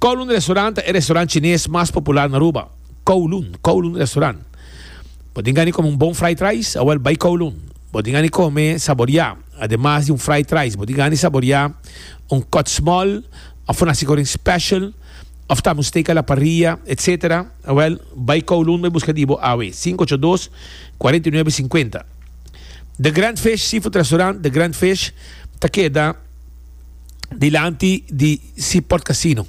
Kowloon Restaurant ta e restaurant chines mas popular na Aruba. Kowloon, Kowloon Restaurant. Bo tin gana di come un bon fried rice? Awel bay Kowloon. Bo tin gana di come, saboria, ademas di un fried rice, bo tin gana di saboria un cut small of un hasicorin special of tambe un steak a la parrilla, etc. Awel bay Kowloon bay busca di bo awe. Cinco ocho dos, cuarenta y nuebe cincuenta. The Grand Fish Seafood Restaurant, The Grand Fish, ta keda. dilanti di si pòrtkasino.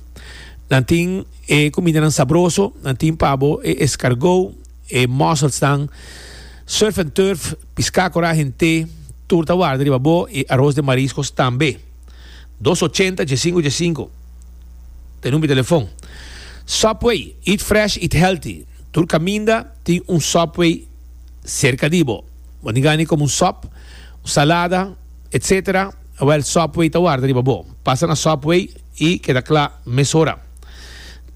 Nan tin e kumindanan sabroso, nan tin pa bo e eskargou, e mòselsnan, surf and turf, piská kòrá hent'é, tur ta warda riba bo i aros den mariskos tambe. Dos ochenta dje sinku dje sinku ta e number di telefòn. Subway, eat fresh, eat healthy, tur kaminda tin un Subway serka di bo. Bo tin gana di komo un sòp, un salada, etc. Awel Subway ta warda riba bo. Pasa na Subway y keda cla mesora.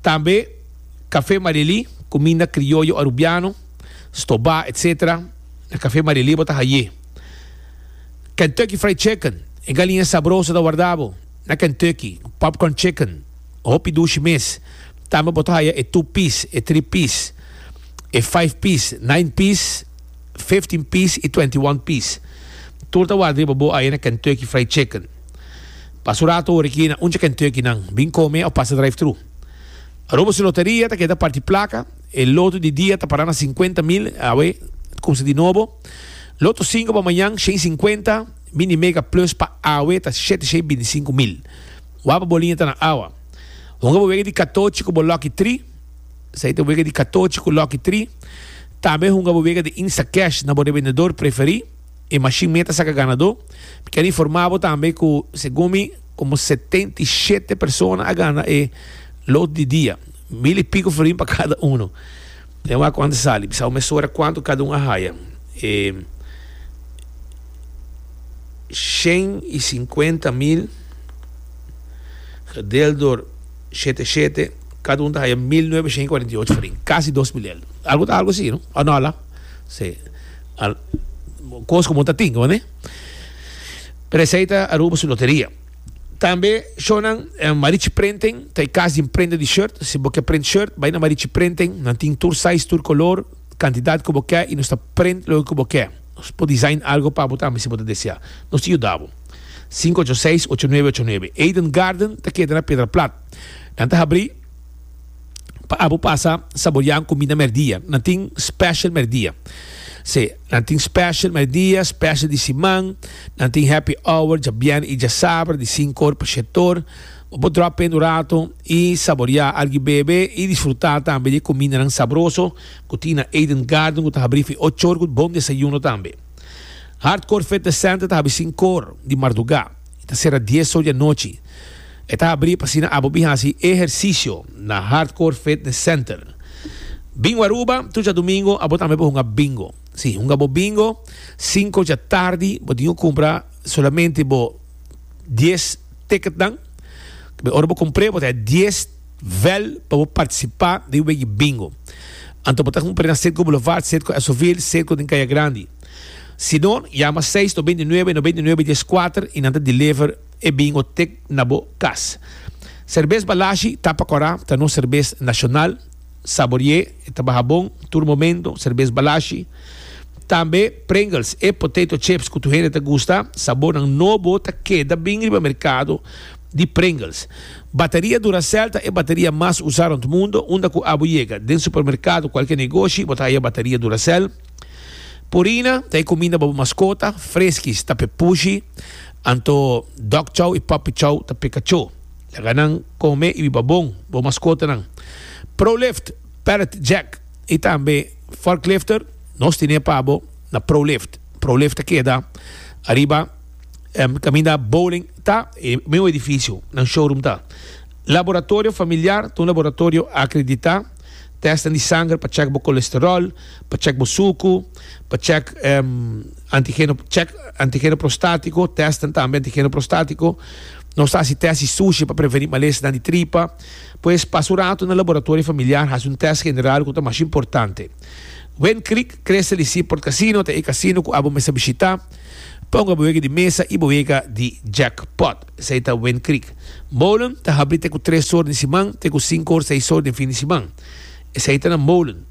Tambe Cafe Marieli, cuminda crioyo Arubiano, stoba etc. Na Cafe Marieli bo ta haye. Kentucky Fried Chicken, e galiña sabroso ta warda bo na Kentucky. Popcorn Chicken, hopi dushi mes. Tambe bo ta haya e two piece, e three piece, e five piece, nine piece. fifteen piece y twenty one piece. Tur ta warda riba bo aye na Kentucky Fried Chicken. Pasa un rato hoor aki na uncha Kentucky nan bin come of pasa drive through. Aruba su loteria ta keda parti placa, e loto di dia ta para na cincuenta mil, awe ta cuminsa di nobo. Loto cinco pa mañan shen cincuenta, mini mega plus pa awe ta siete shen binti cinco mil. Waba boliña ta na awa. Honga bo wega di catochi cu bo lucky three. Esei ta bo wega di katochi ku lòk i tri. Tambe hunga bo wega di Instacash na bo rebendedor preferí. E mashin mei ta saka ganadó. Mi ker informá bo tambe ku segun mi komo setenta i shete persona a gana e Loto di dia. Mil i piko florin pa kada unu. Dja wak kuantu sali. Bisa bo mesora kuantu kada un a haya. E shen i sinkuenta mil gedel dor. shete shete, cada un ta haya mil nuebeshen y cuarenta y ocho farin, casi dos milel. Algo ta algo así, no? O no, ala? Sí. Al, cos como ta tin, ¿vale? Pero esai ta Aruba su loteria. Tambe shonan eh, Marichi Printing, ta e cas di prende di shirt. Si bo ke print shirt, bai na Marichi Printing, nan tin tur size, tur color. kantidat ku bo ke i nos ta prent loke ku bo ke. Nos por design algu pa bo tambe si bo ta desea. Nos ta yuda bo. Sinku ocho seis ocho nuebe ocho nuebe Eden Garden ta keda na Pedra Plat. Nan ta habrí pa abo pasa saboriá un kuminda mèrdia. Nan tin special mèrdia. Sí, nan tin special mèrdia, special di siman. Nan tin happy hour djabièrnè i djasabra di sinku or pa shèt or. Bo dròp p'e un rato i saboriá algi bebe i disfrutá tambe di e kumindanan sabroso ku tin na Eden Garden ku ta habrí fin ocho or ku un bon desayuno tambe. Hardcore Fitness Center ta habri sinku or di mardugá i ta sera dies or di anochi. E ta habrí p'asina abo bin hasi ehersisio na Hardcore Fitness Center. Bingo Aruba, tur djadumingu abo tambe por hunga bingo. Sí, hunga bo bingo sinku djatardi, bo tin ku kumpra solamente bo dies. ticketnan. Ora bo cumpre bo ta haña dies vel pa bo participa den e wege bingo. Anto bo ta cumpre na Circo Boulevard, Circo Esoville, Circo den Caya Grandi. Si no, yama seis no binti nuebe no binti nuebe dies cuater y nan ta deliver e bingo tic na bo cas. Serbes Balashi, Tapa Cora, ta nos serbes nacional. Saborié e ta baha bon tur momento, serbes balashi. Tambe Pringles, e potato chips cu tur hende ta gusta. Sabornan nobo ta keda bin riba mercado di Pringles. Bateria Duracell ta e bateria mas usa rond mundo. Unda cu abo yega, den supermercado, cualkier negoshi, bo ta haya bateria Duracell. Purina ta e cuminda pa bo mascota. Friskies ta p'e pushi, anto Dog Chow y Puppy Chow ta p'e cachó. Laga nan kome i biba bon, bo maskotanan. Prolift, pallet jack i tambe forklifter, nos tine pa bo na Prolift. Prolift ta keda ariba kaminda Bowling ta e mesmo edifisio nan showroom ta. Laboratorio familiar, ta un laboratorio akreditá, tèstnan di sanger pa chèk bo kolesteròl, pa chèk bo suku. Pa check antigeno check antigeno prostático, testen tambe antigeno prostático. Nos ta hasi test di sushi pa preveni malesnan di tripa. Pues pasa un rato na laboratorio familiar hasi un test general ku ta mas importante. Wen Creek kre sali si Port Casino ta e casino ku abo mester bishita. Ponga bo wega di mesa i bo wega di jackpot. Esei ta Wen Creek. Molen ta habri te ku tres or den siman te ku sinku or seis or den fin di siman. Esei ta na Molen.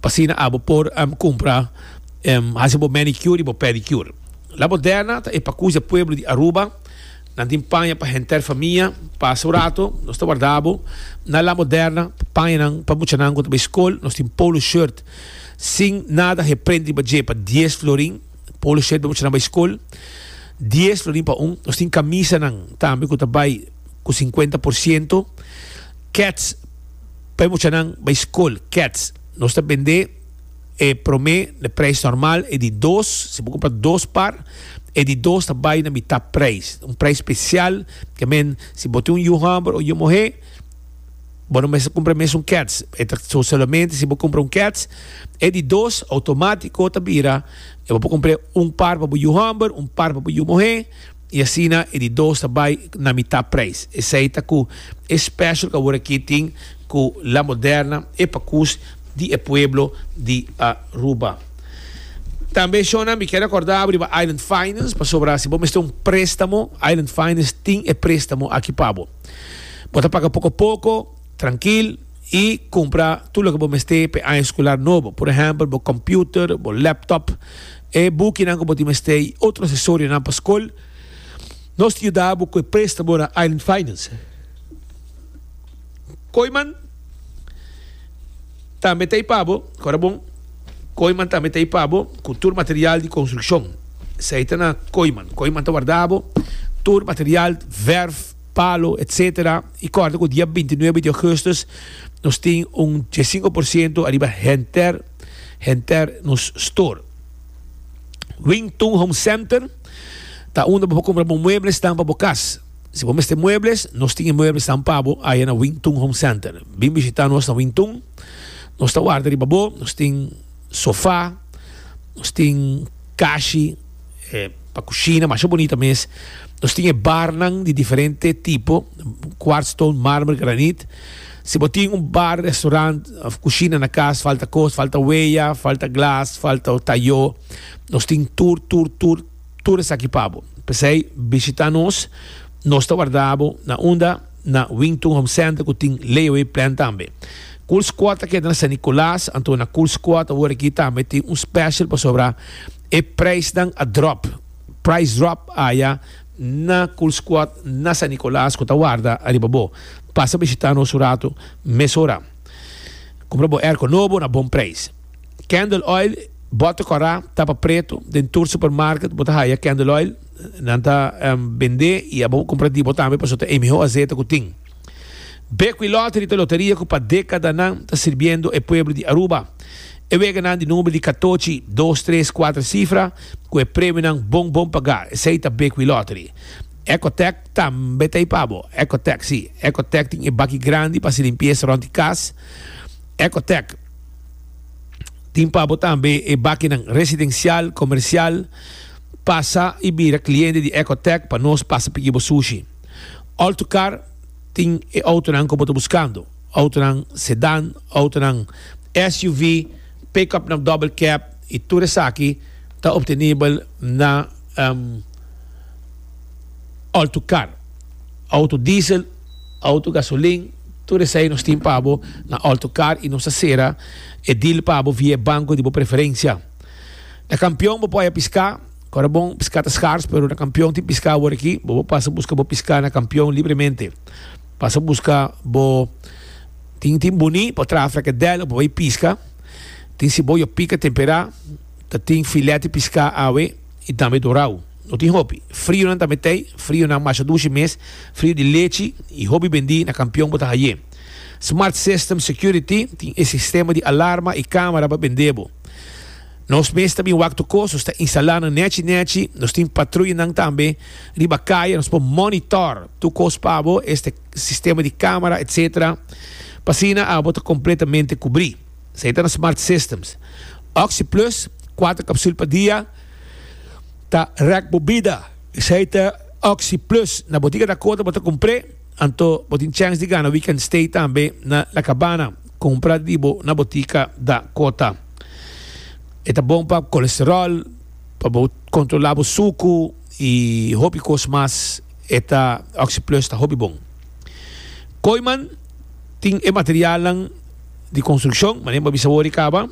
P'asina abo por cumpra, haci bo manicure y bo pedicure. La Moderna ta e pa cusa pueblo di Aruba. Nan tin paña pa henter famia. Pasa un rato, nos ta warda abo na La Moderna. Pa pañanan, pa muchanan cu ta bay scol, nos tin polo shirt sin nada he prent riba dje pa dies florin. Polo shirt pa muchanan bay scol, dies florin pa un. Nos tin camisanan tambe cu ta bay cu cincuenta por ciento. Kets. Pa e muchanan bai skol, kets, nos ta bendé e promé na preis normal, e di dos, si bo kumpra dos par, e di dos ta bai na mitá preis, un preis spesial, ke men, si bo tin un yu hòmber o yu muhé, bo no mester kumpra e mesun kets, e ta so solamente si bo kumpra un kets, e di dos outomátiko ta bira, e bo por kumpr'é un par pa bo yu hòmber, un par pa bo yu muhé. I asina e di dos ta bai na mitá preis. Esei ta ku e special ku awor aki tin ku La Moderna, e pa kus di e pueblo di Aruba. Tambe shona mi kere korda bo riba Island Finance pasobra si bo mester un prestamo, Island Finance tin e prestamo aki pa bo. Bo ta paga poko poko, trankil i kumpra tur loke bo mester pa e aña eskular nobo. Por ehèmpel bo kòmputer, bo lèptòp. E bukinan ku bo tin mester i otro asesorionan pa skol, nos ta yuda bo ku e préstamo na Island Finance. Koiman tambe ta ipa bo, kora bon, Koiman tambe ta ipa bo ku tur material di konstrukshon. Esei ta na Koiman. Koiman ta warda bo tur material, vèrf, palo, etsetera. I kòrda ku dia binti nuebe di ougùstus nos tin un diesinku por siento ariba henter. henter nos store. Wing Tun Home Center ta unda bo por cumpra bo mueblesnan pa bo cas. Si bo mester muebles, nos tin e mueblesnan pa bo aya na Wing Tun Home Center. Bin bishita nos na Wing Tun, nos ta warda riba bo, nos tin sofa, nos tin cashi pa cushina masha bonita mes, nos tin e barnan di diferente tipo, quartz stone, marmer, granit. Si bo tin un bar, restaurant of cushina na cas, falta cos, falta weya, falta glas, falta o tayo, nos tin tur, tur, tur, tur esaki pa bo. P'esey bishita nos, nos ta warda bo na unda? Na Wington Home Center cu tin layaway plan tambe. Cool Squad ta keda na San Nicolas, anto na Cool Squad awor aki tambe tin un special pasobra e prijsnan a drop. Price drop aya. na Cool Squad na San Nicolas cu ta warda ariba bo. Pasa bishita nos un rato mesora. Cumpra bo airco nobo na bon prijs. Candle Oil, bota cora, tapa preto, den tur supermarket bo ta haya Candle Oil. Nan ta bende y abo cumpra di bo tambe pasobra ta e miho azete cu tin. Beco y Lottery ta loteria cu pa decadanan ta sirbiendo e pueblo di Aruba. E weganan di number di catochi, dos, tres, cuatro cifra cu e premionan bon bon paga, esey ta Beco y Lottery. Ecotec tambe ta ipabo. Ecotec, si, Ecotec tin e baki grandi pa haci limpieza rond di cas. Ecotec tin pabo tambe e bakinan residencial, comercial. Pasa y bira cliente di Ecotec pa nos pasa pidi bo sushi. Autocar tin e autonan cu bo ta buscando, autonan sedan, autonan SUV, pick-up na double cab y tur esaki ta obtenibel na Autocar. Auto diesel, auto gasolin, tur esai nos tin pa bo na Autocar y nos ta cera e deal pa bo via e banco di bo preferencia. Na Kampion bo por haya pisca. Ora bon piská ta skars, pero na Kampion tin piská awor aki. Bo por pasa buska bo piská na Kampion libremente. Pasa buska bo tin tin buni, por traha frekedèl o por bai piska. Tin siboya pika temperá. Ta tin filèt di piská awe i tambe dorau. No tin hopi. Frionan tambe t'ei, frionan masha dushi mes, frio di lechi i hopi bendí na Kampion bo ta haye. Smart System Security tin e sistema di alarma i kámara pa bend'é bo. Nos mes ta bin wak tur kos, nos ta instalá nan nèchi nèchi, nos tin patruyanan tambe riba kaya, nos por mònitòr tur kos pa bo, este sistema di kámara etcétera, pa asina abo ta kompletamente kubrí. Esei ta nan Smart Systems. Oxi Plus, kuater kapsul pa dia, ta rèk bo bida. Esei ta Oxi Plus. Na botiga Dakota bo ta kumpr'é, anto bo tin chèns di gana Weekend Stay tambe na La Cabana. Cumpra di bo na botica da cota. E ta bon pa colesterol, pa bo controla bo sucu y hopi cos mas. E ta OxyPlus ta hopi bon. Kooiman tin e materialnan di construccion, manera bo a bisa awor y caba.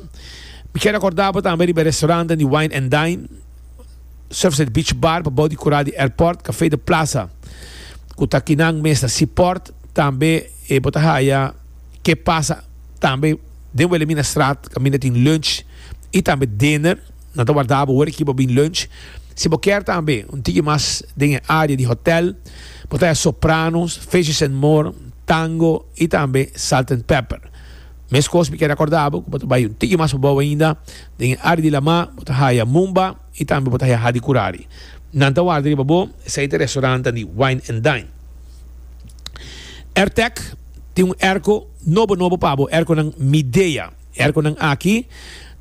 Mi kier a corda bo tambe riba e restaurantnan di Wine and Dine, Surfside Beach Bar pa bou di cural di Airport, Café de Plaza cu ta kinan mes na Seaport, tambe e bo ta haya. ke pasa tambe den Wilhelmina Straat kaminda tin lunch y tambe dinner nan ta warda bo wor aki pa bin lunch si bo kier tambe un tiki mas den e área di hotel bo ta haya Sopranos, Fishes and More, Tango y tambe Salt and Pepper meskos mi kier acorda bo ku bo ta bai un tiki mas pa bou ainda den e área di Lamar bo ta haya Mumba. I tambe bo ta haya di curari. Nan ta warda riba bo, esey ta restaurantan di Wine and Dine. Airtech tin un airco nobo nobo pa bo, airconan Midea. E airconan aki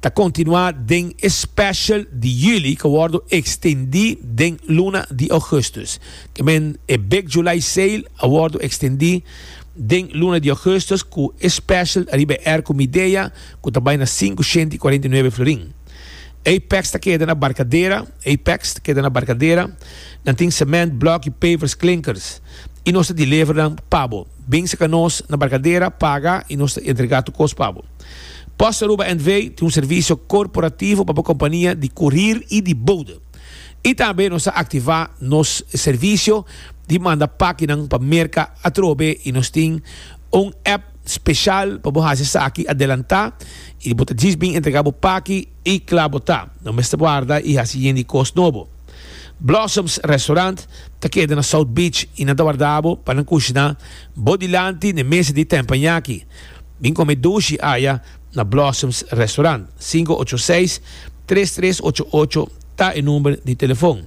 ta continua den e special di juli cu a wordo extendi den luna di augustus. Ke men e Big July Sale a wordo extendi den luna di augustus cu e special riba e airco Midea cu ta bay na sinku shenti cuarenta i nuebe florin. Apex ta keda na Barkadera, Apex ta keda na Barkadera. Nan tin cement, block y pavers, klinkers. Y nos ta deliver nan pa bo. Bin saka nos na Barkadera, paga y nos ta entrega tu kos pa bo. Post Aruba NV. tin un servicio corporativo pa bo compania di corir y di bode. Y tambe nos ta activa nos servicio di manda pakinan pa Merca atrobe y nos tin un app. special pa bo haci esaki adelanta y bo ta djis bin entrega bo paki y cla bo ta no mester warda y haci yen di cos nobo. Blossoms Restaurant ta keda na South Beach y nan ta warda bo pa nan cushna bo dilanti n'e mesa di tempañaki. Bin come dushi aya na Blossoms Restaurant. Cinco ocho seis tres tres ocho ocho ta e number di telefon.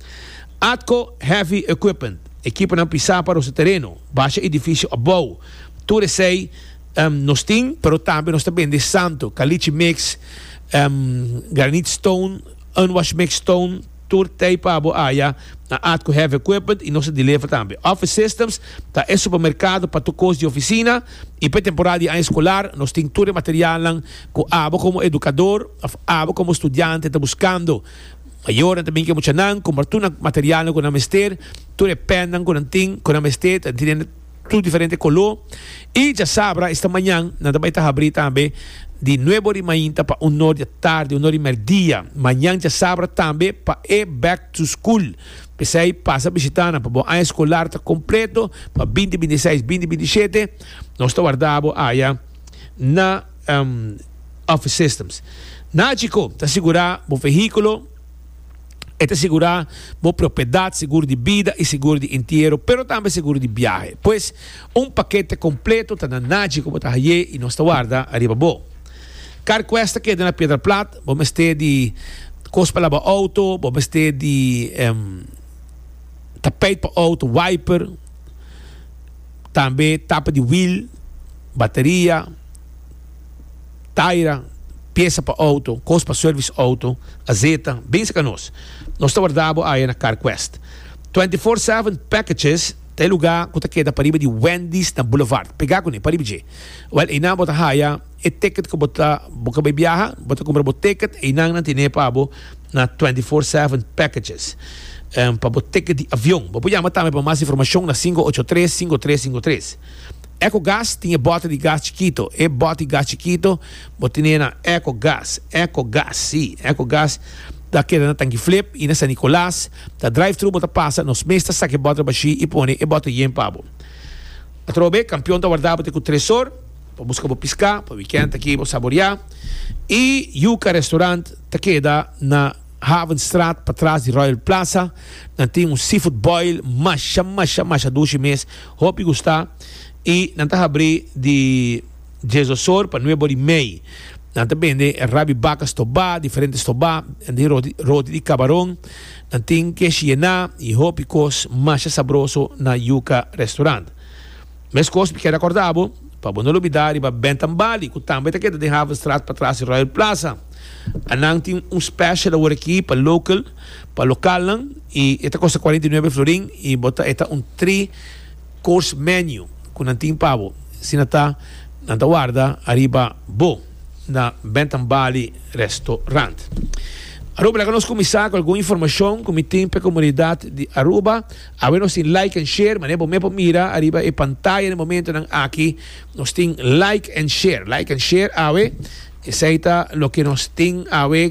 Atco Heavy Equipment, ekiponan pisá pa nos e tereno, basha e difisio abou. Tur esei nos tin, pero tambe nos ta bende santo, kalichi mix, granit stone, unwash mix stone, tur tei pa bo haya na Atco Heavy Equipment y nos ta deliver tambe. Office Systems ta e supermercado pa tur cos di oficina y p'e temporada di aña escolar nos tin tur e materialnan cu abo como educador of abo como studiante ta buscando. Mayornan ta bin ke muchanan, compra tur nan materialnan cu nan mester, tur e pennan cu nan tin, cu nan mester, ta tin den tur diferente coló. Y djasabra, esta mañan nan ta bay ta habrí tambe di nuebe ori mainta pa un nor di atardi, un ori merdia. Mañan djasabra tambe pa e Back to School. P'esey pasa bishita nan pa bo aña escolar ta completo, pa binti binti seis, binti binti shete. Nos ta warda bo aya na. Office Systems. Naci cu ta sigura bo vehiculo? E ta sigura bo propiedad, seguro di bida y seguro di entiero, pero tambe seguro di biahe. Pues, un pakete completo ta na naci cu bo ta haye y nos ta warda ariba bo. CarQuest ta keda na Piedra Plat, bo mester di cos pa laba auto, bo mester di tapijt pa auto, wiper. tambe tapa di wiel, bateria, taira, piesa pa auto, kos pa service auto, azeta, binse ka nos. Nos ta warda bo aya na CarQuest. Twenty Four Seven Packages ta e lugá ku ta keda pariba di Wendy's na Boulevard. Pegá kuné pariba dje. Wèl einan bo ta haya. E ticket cu bo ta bo ka bay biaha, bo ta cumpra bo ticket, eynan nan tene pa bo na twenty four seven packages pa bo ticket di avion. Bo por yama tambe pa mas informacion na cinco ocho tres, cinco tres cinco tres. Ecogas tin e bote di gas chikito, e bote di gas chikito bo tene na Ecogas, Ecogas, si, Ecogas ta keda na Tanki Flip y na San Nicolas, ta drive thru bo ta pasa, nos mes ta saca e bote bashi y pone e bote yen pa bo. Atrobe, campeon ta warda bo te cu tres or. Pa buska bo piská pa wikènt aki bo saboreá. E Yuca Restaurant ta keda na Havenstraat patras di Royal Plaza. Nan tin un seafood boil masha masha masha dushi mes, hopi gustá. E nan ta habrí di dies dos or pa nuebe or di mei. Nan ta bende e rap di baka stobá, diferente stobá, e roti di kabaron. Nan tin kesh yená i hopi kos masha sabroso na Yuca Restaurant. Meskos mi ke rekorda bo, pa bo no lo bida riba Bentham Bali, ku tambe ta keda den Havenstraat patras di Royal Plaza. A nan tin un special awor aki pa local, pa lokalnan, i e ta kosta cuarenta y nueve florin i bo ta eta un three course menu ku nan tin pa bo. Asina ta, nan ta warda ariba bo na Bentham Bali Restaurant. Aruba, laga nos kuminsá ku algun informashon ku mi tin p'e komunidat di Aruba. Awe nos tin like and share, manera bo mep por mira ariba e pantaya den momentonan aki, nos tin like and share, like and share awe, esei ta loke nos tin awe,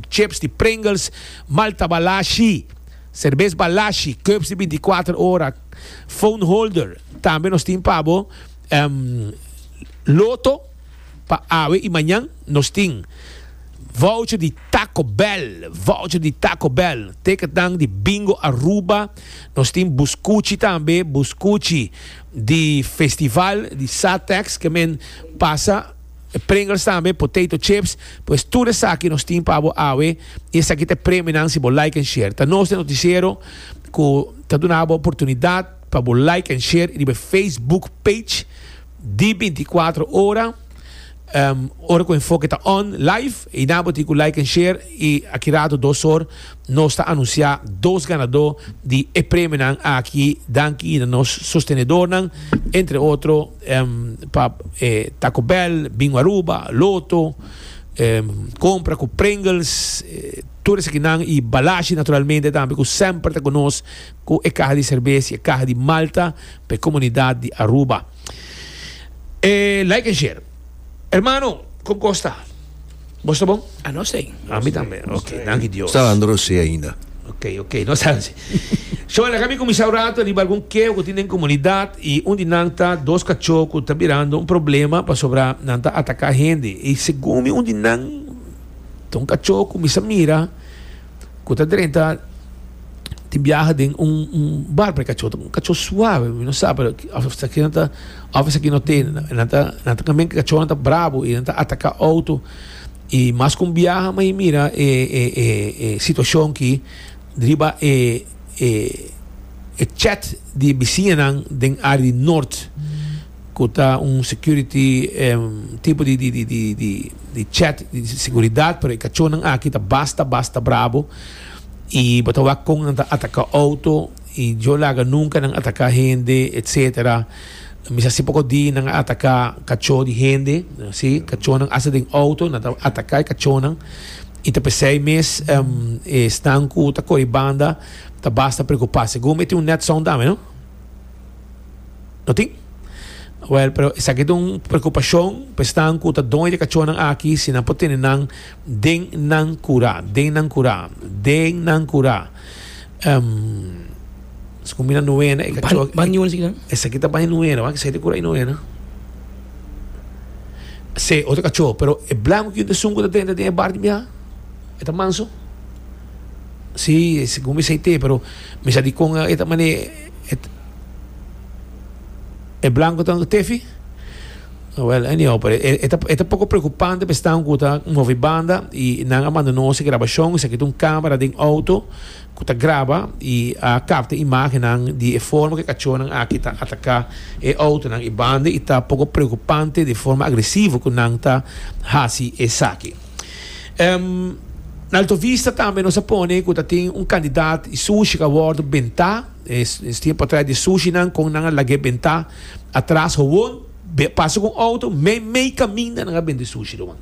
chips di Pringles, Malta Balashi, Serbes Balashi, Cups di binti kuater ora, Phone Holder, tambe nos tin pa bo Loto, Pa awe i mañan nos tin voucher di Taco Bell, voucher di Taco Bell, ticket nan di Bingo Aruba, nos tin buscuchi tambe, buscuchi di festival di Satex ke men pasa, Pringles tambe, potato chips, pues tur esaki nos tin pa bo awe i esaki ta e premionan si bo like en share. Ta nos e noticiero ku ta duna bo oportunidad pa bo like en share riba e Facebook page. di binticuatro ora ora cu enfoke ta on live y na bo tin cu like en share y aki rato dos or nos ta anuncia dos ganador di e premionan aki danki na nos sostenedornan entre otro pa taco bell bingo aruba loto compra cu pringles tur esakinan y balashi naturalmente tambe cu semper ta cu nos cu e caha di cerveza y e caha di malta pa e comunidad di Aruba. E like en share. Hermano, con cos ta? Bo sta bon? A nos ey. A mi tambe. Ok, danki Dios. Sandro si ainda. Ok, ok, no sabi si. So, laga mi cuminsa un rato riba algun keo cu tin den comunidad y un di nan ta dos cacho cu ta birando un problema pasobra nan ta ataca hende. Y segun mi un di nan ta un cacho cu mi sa mira. ku ta drenta tin biaha den un un barco e kacho un kacho suave mi no sa pero hasta aquí ta of aquí no te nan ta nan ta kamen kacho nan ta brabo y nan ta ataka auto y mas con biaha ma y mira e e e e situacion ki riba e e e chat di bisiña nan den área di norte cu ta un security tipo di di di di di chat di seguridad pero e cachonan aki ta basta basta brabo y bo ta wak con nan ta ataca auto y yo laga nunca nan ataca hende etcetera mester haci poco di nan a ataca cacho di hende si cachonan asta den auto nan ta ataca e cachonan y ta pesey mes esnan cu ta coge banda ta basta preocupa segun me tin un net sound dame no. No tin? Wel, pero esaki ta un preokupashon pa esnan ku ta done di kachónan aki si nan por tene nan den nan kura, den nan kura, den nan kura. Em, Según mi na nuena, e kachó, Ban- ban nuena, sikinan? esaki ta baña nuena, wan, esaki ta kura i nuena. Se, otro kachó, pero e blanco ku yunta esun ku ta drenta den e bar di biaha, e ta manso. Sí, según mi sa i te, pero mi sa di kon e ta mané. E blanco ta tefi? Well, anyhow, pero e, e, ta, e ta poco preocupante pe staan cu ta movi banda y nan a manda no se grabacion, se kita un camera den auto cu ta graba y a capta imagennan di e forma cu e cachornan aki ta ataca e autonan y banda y ta poco preocupante di forma agresivo cu nan ta haci esaki. Um, na Alto Vista tambe nos a pone cu ta tin un candidat y sushi ca wordo benta. Es, es tiempo atrás de sushi nan con nan a lagé benta atrás gewoon. Be, pasa con auto, me, mei caminda nan a bende sushi lo man.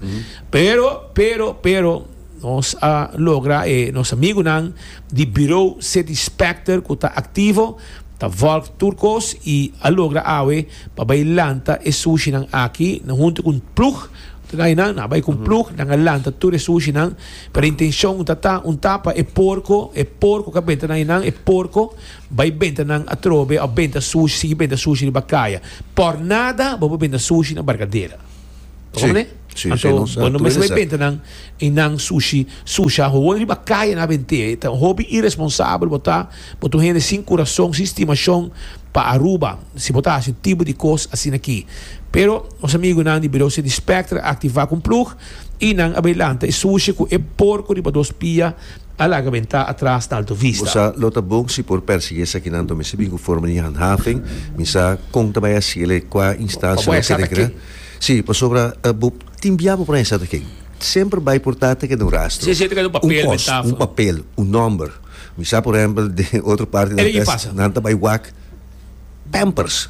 Pero, pero, pero, nos a logra e nos amigo nan di bureau City Specter cu ta activo, ta volg tur cos y a logra awe pa bay lanta e sushi nan aki na hunto cu un ploeg Tnainan a bai cu un plug, nan a lanta tur e sushinan, pero e intencion ta ta un tapa e porco, e porco ca benta nainan, e porco bai benta nan atrobe of benta sushi, sigui benta sushi riba caya. Por nada bo por benta sushi na Barcadera. Ta con me? Anto bo no mester bai benta nan y nan sushi, sushi a hoon riba caya nan a bente, ta un hopi irresponsabel bo ta. Bo ta un hende sin kurason, sin stimashon pa Aruba si bo ta hasi un tipo di kos asina aki. Pero nos amigunan di Birou City Spectre a aktivá ku un plug i nan a bai lanta e sushi ku e porko riba dos pia a laga bentá atras na Alto Vista. Bo sa lo ta bon si por pèrsiguí esakinan ta mester bin ku forma di handhaving. Mi sa kon ta bai hasi el e kua instansia lo ke rekerá. Sí, pasobra bo tin bia bo por hasi sa ta ken. Semper bai por ta ta keda un rastro, un kos, un papel, un nòmber. Mi sa por ehempel den otro parti nan ta es nan ta bai wak pampers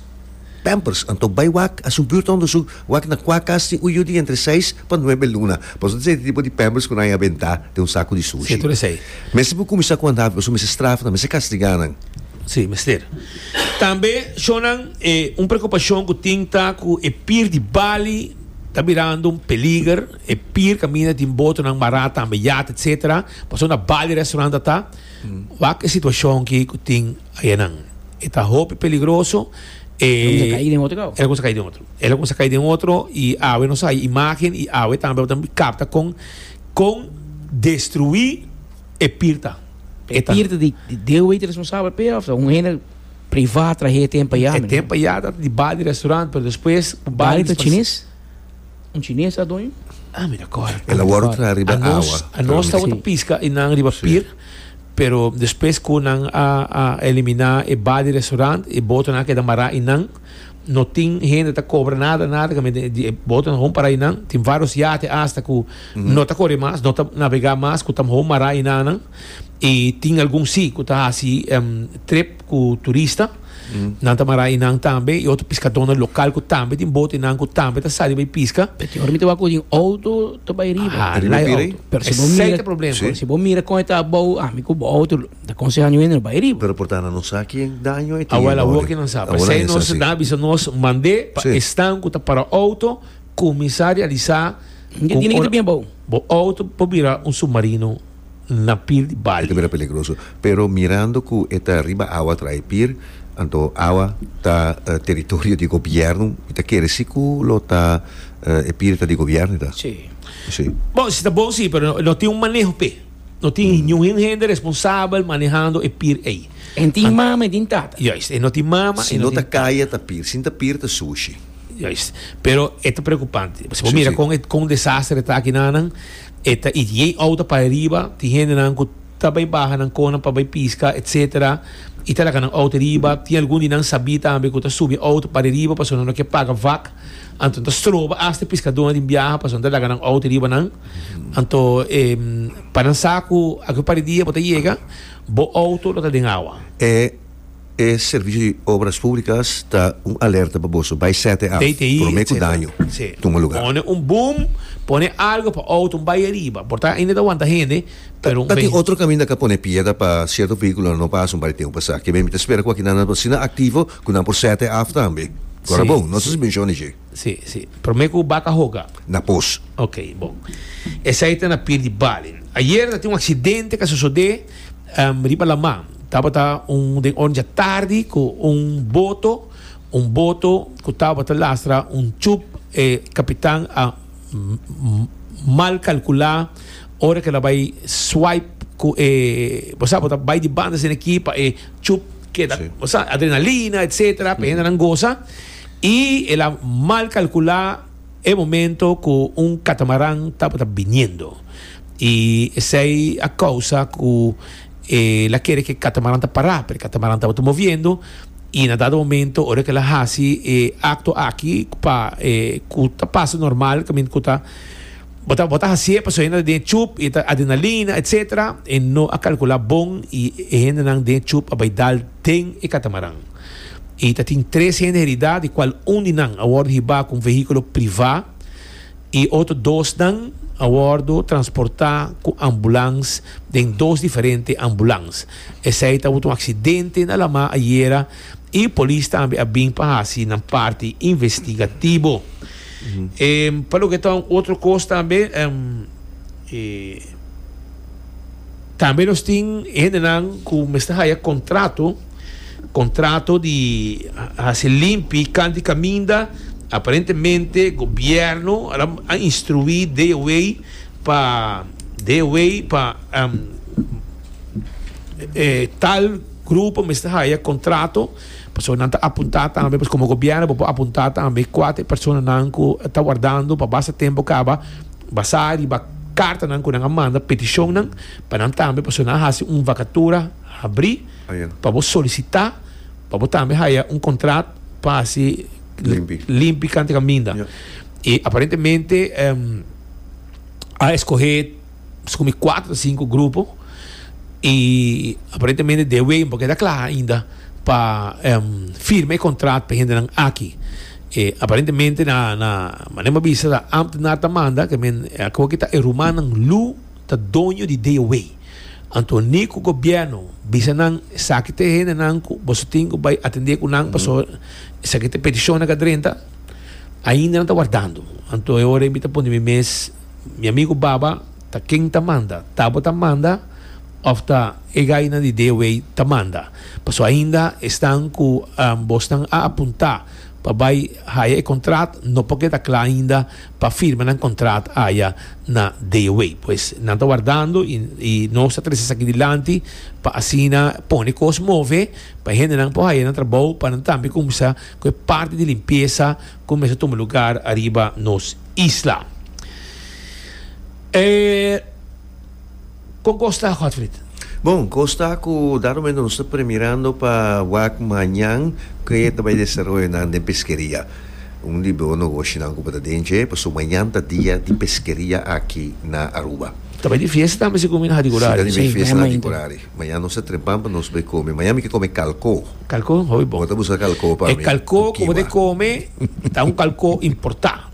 pampers anto bai wak a su buurt hondo su wak na kua kas tin uyu di entre seis pa nuebe luna paso ta esei tipo di pampers ku nan a benta den un saku di sushi mester por kuminsá ku andá paso mester strafa nan mester kastigá nan. Si mester tambe shonnan un prekupashon ku tin ta ku e pier di Bali ta birando un peliger. E pier caminda tin botonan mará tambe yat etc. Pasobra na bali restaurant a ta. Wak e situacion aki cu tin ayanan. E ta hopi peligroso. E lo cuminsa cai den otro cau. E lo cuminsa cai den otro. E lo cuminsa cai den otro y awe nos a hay imagen y awe tambe bo ta mira capta con con destrui e pier ta. E pier ta di deo bay ta responsabel p'e of ta un hende privat trahe e ten pa ya? E ten pa ya ta di bali restaurant pero despues cu bali. Bali ta chines? Un chines a doño? Ah, mi ta kòrda. El a wòrdu traha riba e awa. Anos tabata piska i nan riba pir, pero despues ku nan a a eliminá e ba di restaurant, e botonan a keda mará i nan no tin hende ta kobra nada nada kaminda e di e botonan hon pará i nan. Tin vários yate asta ku no ta kore mas, no ta navegá mas ku ta mihó mará i nan nan. E tin algun si ku ta hasi trip ku turista, nan ta mará einan tambe, i otro piskadónan lokal ku tambe tin bote einan ku tambe ta sali bai piska. P'e tur mi ta wak ku den outo ta bai riba. A riba pira ei. Pero si bo mira, pero si bo mira kon e ta abou, ami ku bo outo lo ta konsehá aña wende no bai riba. Pero por ta na no sa ken daño e tin ei no. Awor awor ke nan sa. P'esei nos nan a bisa nos mand'é pa esnan ku ta para outo kuminsá realisá ku ora bo outo por bira un submarino. na pir di bali. E ta bira peligroso. Pero mirando cu e ta riba awa traha e pir, anto awa ta territorio di gobierno, y ta kere si cu lo ta e pir ta di gobierno, ta? Sí. Sí. Bo, si ta bon sí, pero no tin un maneho p'e. No tin ningun hende responsabel manehando e pir ey. E no tin mama, e no tin tata. Juist. E no tin mama, e no tin tata. Si no ta kaya, ta pir. Si no ta pir, ta sushi. Juist. Pero e ta preocupante. Si bo mira con e con desastre e ta aki nanan. E ta i djei outa pa e riba, tin hendenan ku ta bai baha nan konan pa bai piska, etc. I ta laka nan outa riba. Tin algun di nan sabí tambe ku ta subi e outa pare riba pasobra nan no ke paga vak. Anto nan ta stroba asta e piskadónan den biaha pasobra nan ta laka nan outa riba nan. Anto, pa nan sa ku aki pare dia bo ta yega, bo outo lo ta den awa. E. E Servicio di Obras Públicas ta un alerta pa boso, bai sete af, prome cu daño tuma lugar. Pone un boom, pone algo pa auto un bai ariba, por ta ainda ta wanta hende, pero un. Ta tin otro caminda ca pone piedra pa cierto vehiculonan no pasa un par di tempo pasá. Kibe mi ta spera cu aki nan na por asina activo cu nan por sete af tambe. Cora bon, no ta suspension neje. Sí, sí. Promé ku bak a hoga. Na pos. Ok, bon. Esei ta na pier di Bali. Ayer ta tin un aksidente ku a sosodé um riba laman. Tabata un den ornan dja tardi ku un boto, un boto ku tabata lastra un tjub. E kapitan a mal kalkulá ora ku el a bai swipe ku e, bo sa, bo ta bai di banda asina aki pa e tjub keda, bo sa, adrenalina, etsetera, pa e hendenan gosa. I el a mal kalkulá e momento ku un katamaran tabata biniendo. I esei a kousa ku el a kere ku e katamaran ta pará, pero e katamaran tabata moviendo. I na dado momento, ora ku el a hasi e akto aki, pa ku ta pasa normal, ta min ku ta, bo ta bo ta hasié pasobra hende ta den e chup i ta adrenalina, etsetera. E no a kalkulá bon i e hendenan den e chup a bai dal den e katamaran. I ta tin tres hende heridá, di kual un di nan a wòrdu hibá ku un vehíkulo privá i otro dosnan a wòrdu transportá ku ambulans den dos diferente ambulans. Esei tabata un aksidente na Lamá ayera i polis tambe a bin pa hasi nan parti investigativo. Pa loke ta un otro kos tambe, e. Tambe nos tin hendenan ku mester haya kontrato, kontrato di hasi limpi kanti kaminda. Aparentemente gobièrnu a instruí DOWEI pa DOWEI pa e tal grupo mester haya kontrato, pasobra nan ta apuntá tambe, pues komo gobièrnu bo por apuntá tambe kuater personanan ku ta wardando pa basta tempu kaba. Basá riba kartanan ku nan a manda petishonnan pa nan tambe pasobra nan a hasi un vakatura habrí pa bo solisitá pa bo tambe haya un kontrat pa hasi limpi kante kaminda. I aparentemente a eskohé pasobra mi kuater ta sinku grupo i aparentemente dewey no por keda kla ainda pa firma e kontrat pa e hendenan aki. E aparentemente na na mané bo a bisa ta ambtenaar ta manda ke men a koe ke ta e rumannan Lu ta doño di DOW. Anto ni ku gobièrnu bisa nan esaki ta e hendenan ku boso tin ku bai atendé ku nan paso esaki ta e petishon nan ku a drenta ainda nan ta wardando. Anto e ora ei mi ta pone mi mes mi amigu Baba ta ken ta manda? Ta bo ta manda? Of ta e gainan di Dewey ta manda. Paso ainda esnan cu bosnan a apunta pa bay haya e contrat no por keda cla ainda pa firma nan contrat aya na Dewey. Pues nan ta wardando y nos ta trece esaki dilanti pa asina pone cos move pa e hendenan por haya nan trabao pa nan tambe cuminsa cu e parti di limpieza cu mester tuma lugar ariba nos isla. Kon kos ta, Godfrid? Bon, kos ta ku dat momento nos ta premirando pa wak mañan ke ta bai desaroyo nan den peskeria. Un di bo nogoshinan ku bo ta den dje, pasobra mañan ta dia di peskeria aki na Aruba. Ta bai di fiesta tambe segun mi nan di Kurari. Si, ta di bai fiesta nan di Kurari. Mañan nos ta trempan pa nos bai kome. Mañan mi ke kome kalko. Kalko? Hopi bon. Bo ta buska kalko pa mi ku kiwa. E kalko ku bo ta kome ta un kalko importá.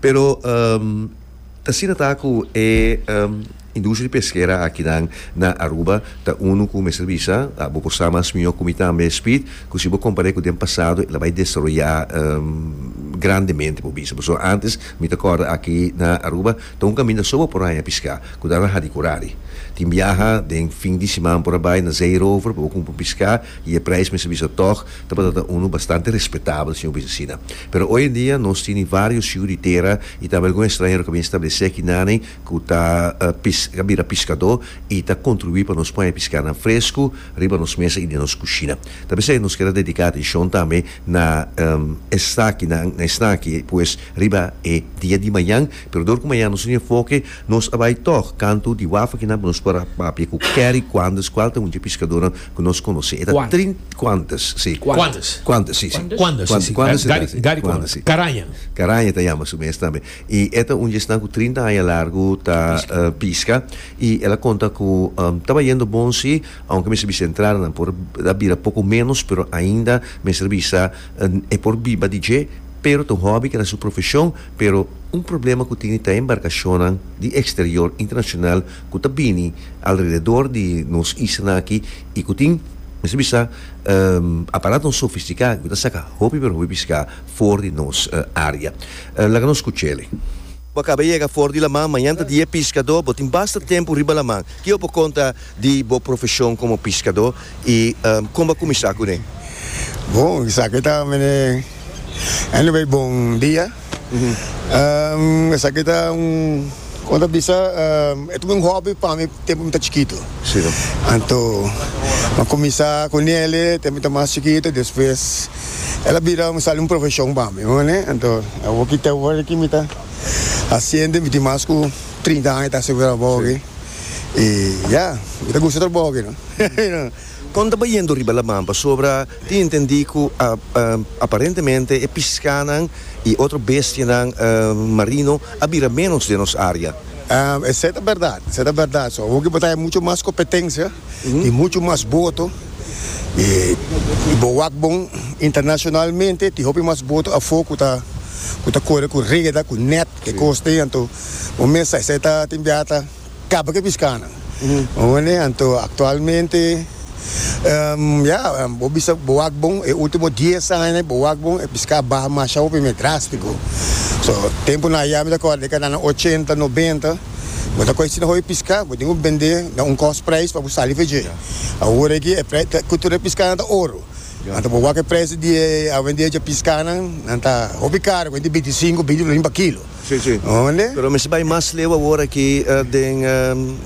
Pero ta asina ta ku e industria di peskera akinan na Aruba ta unu ku mester bisa, bo por sa mas mihó ku mi tambe Speed, ku si bo kompar'é ku den pasado el a bai desaroyá grandemente por bisa. Pasobra ántes mi ta kòrda aki na Aruba ta un kaminda so bo por haña piská ku ta rahá di kurari. Tin biaha den fin di siman por a bai na Zeerover pa bo kumpra un piská. I e prijs mester bisa tòg tabata ta unu bastante respetabel, señor Bisesina. Pero oy en dia nos tin di varios shiu di tera i tambe algun estranhero ku a bin establesé aki naney ku ta pis a bira piskadó i ta kontribuí pa nos pon e piskana fresku riba nos mesa i den nos kushina. Ta p'esei nos keda dediká atenshon tambe na estakinan, na esnan aki pues riba e dia di mañan. Pero dor ku mañan nos tin enfoke, nos a bai tòg kantu di wafa kinan ku nos por a papia ku kèri kuandes kual ta un dje piskadonan ku nos konosé. E ta trint. Kuantes, si. Kuantes. Kuantes, si, si. Kuandes, si, si. Kuandes, si, si. Gari Kuandes, si. Karaña. Karaña ta yama su mes tambe. I e ta un djesnan ku trinta aña largu ta piska. I el a konta ku tabayendo bon si, ounke mester bisa entradanan por a bira poko ménos, pero ainda mester bisa e por biba di dje, pero ta un hòbi keda su profeshon, pero un problema ku tini ta e embarkashonnan di eksterior, internashonal. ku ta bini alrededor di nos islanan aki i ku tin, mi ta bisa, aparato sofistiká ku ta saka hopi pero hopi piská for di nos área. Laga nos skuch'e. Bo a kaba yega for di laman, mañan ta dia piskadó, bo tin basta tempu riba laman. Ke bo por konta di bo profeshon komo piskadó i kon bo a kuminsá kuné? Bon, esaki ta mene anyway bon dia. Esaki ta un, como ta bisa, e ta un hobby pa mi tempu mi ta chikito. Anto mi a cuminsa cu Nele tempu mi ta mas chikito, despues el a bira un sali un profesion pa mi, bo ne. Anto awor ki ta awor aki mi ta haciendo, mi tin mas cu trinta aña mi ta haciendo trabao aki y ya, mi ta gusta trabao aki no. Kon ta bayendo riba laman pasobra tin entendí ku aparentemente e piskánan i otro bestianan marino a bira ménos den nos área. Esei ta bèrdat, esei ta bèrdat. So hopi bo ta haña muchu mas kompetensia i muchu mas boto i bo wak bon internashonalmente. Tin hopi mas boto afó ku ta ku ta kore ku reda, ku nèt, ke kos te. Anto bo mester sa esei ta tin biaha ta. Kaba ke piskánan. Oné, anto aktualmente, ya, bo bisa bo wak bon, e último dies aña i bo wak bon, e piská baha masha hopi me, drástiko. So, tempunan ayá mi ta kòrda den kadanan ochenta, nobenta, bo ta kòge asina hopi piská, bo tin ku bend'é na un kòst preis pa bo sali fe dje. Awor aki, e preis, e kultura di piskánan ta oro. Anto bo wak e preis di e, awendié dje piskánan, nan ta hopi karu, kuinti binti sinku, binti lorin pa kilo. Si, si. Honde? Pero mester bai mas leu awor aki den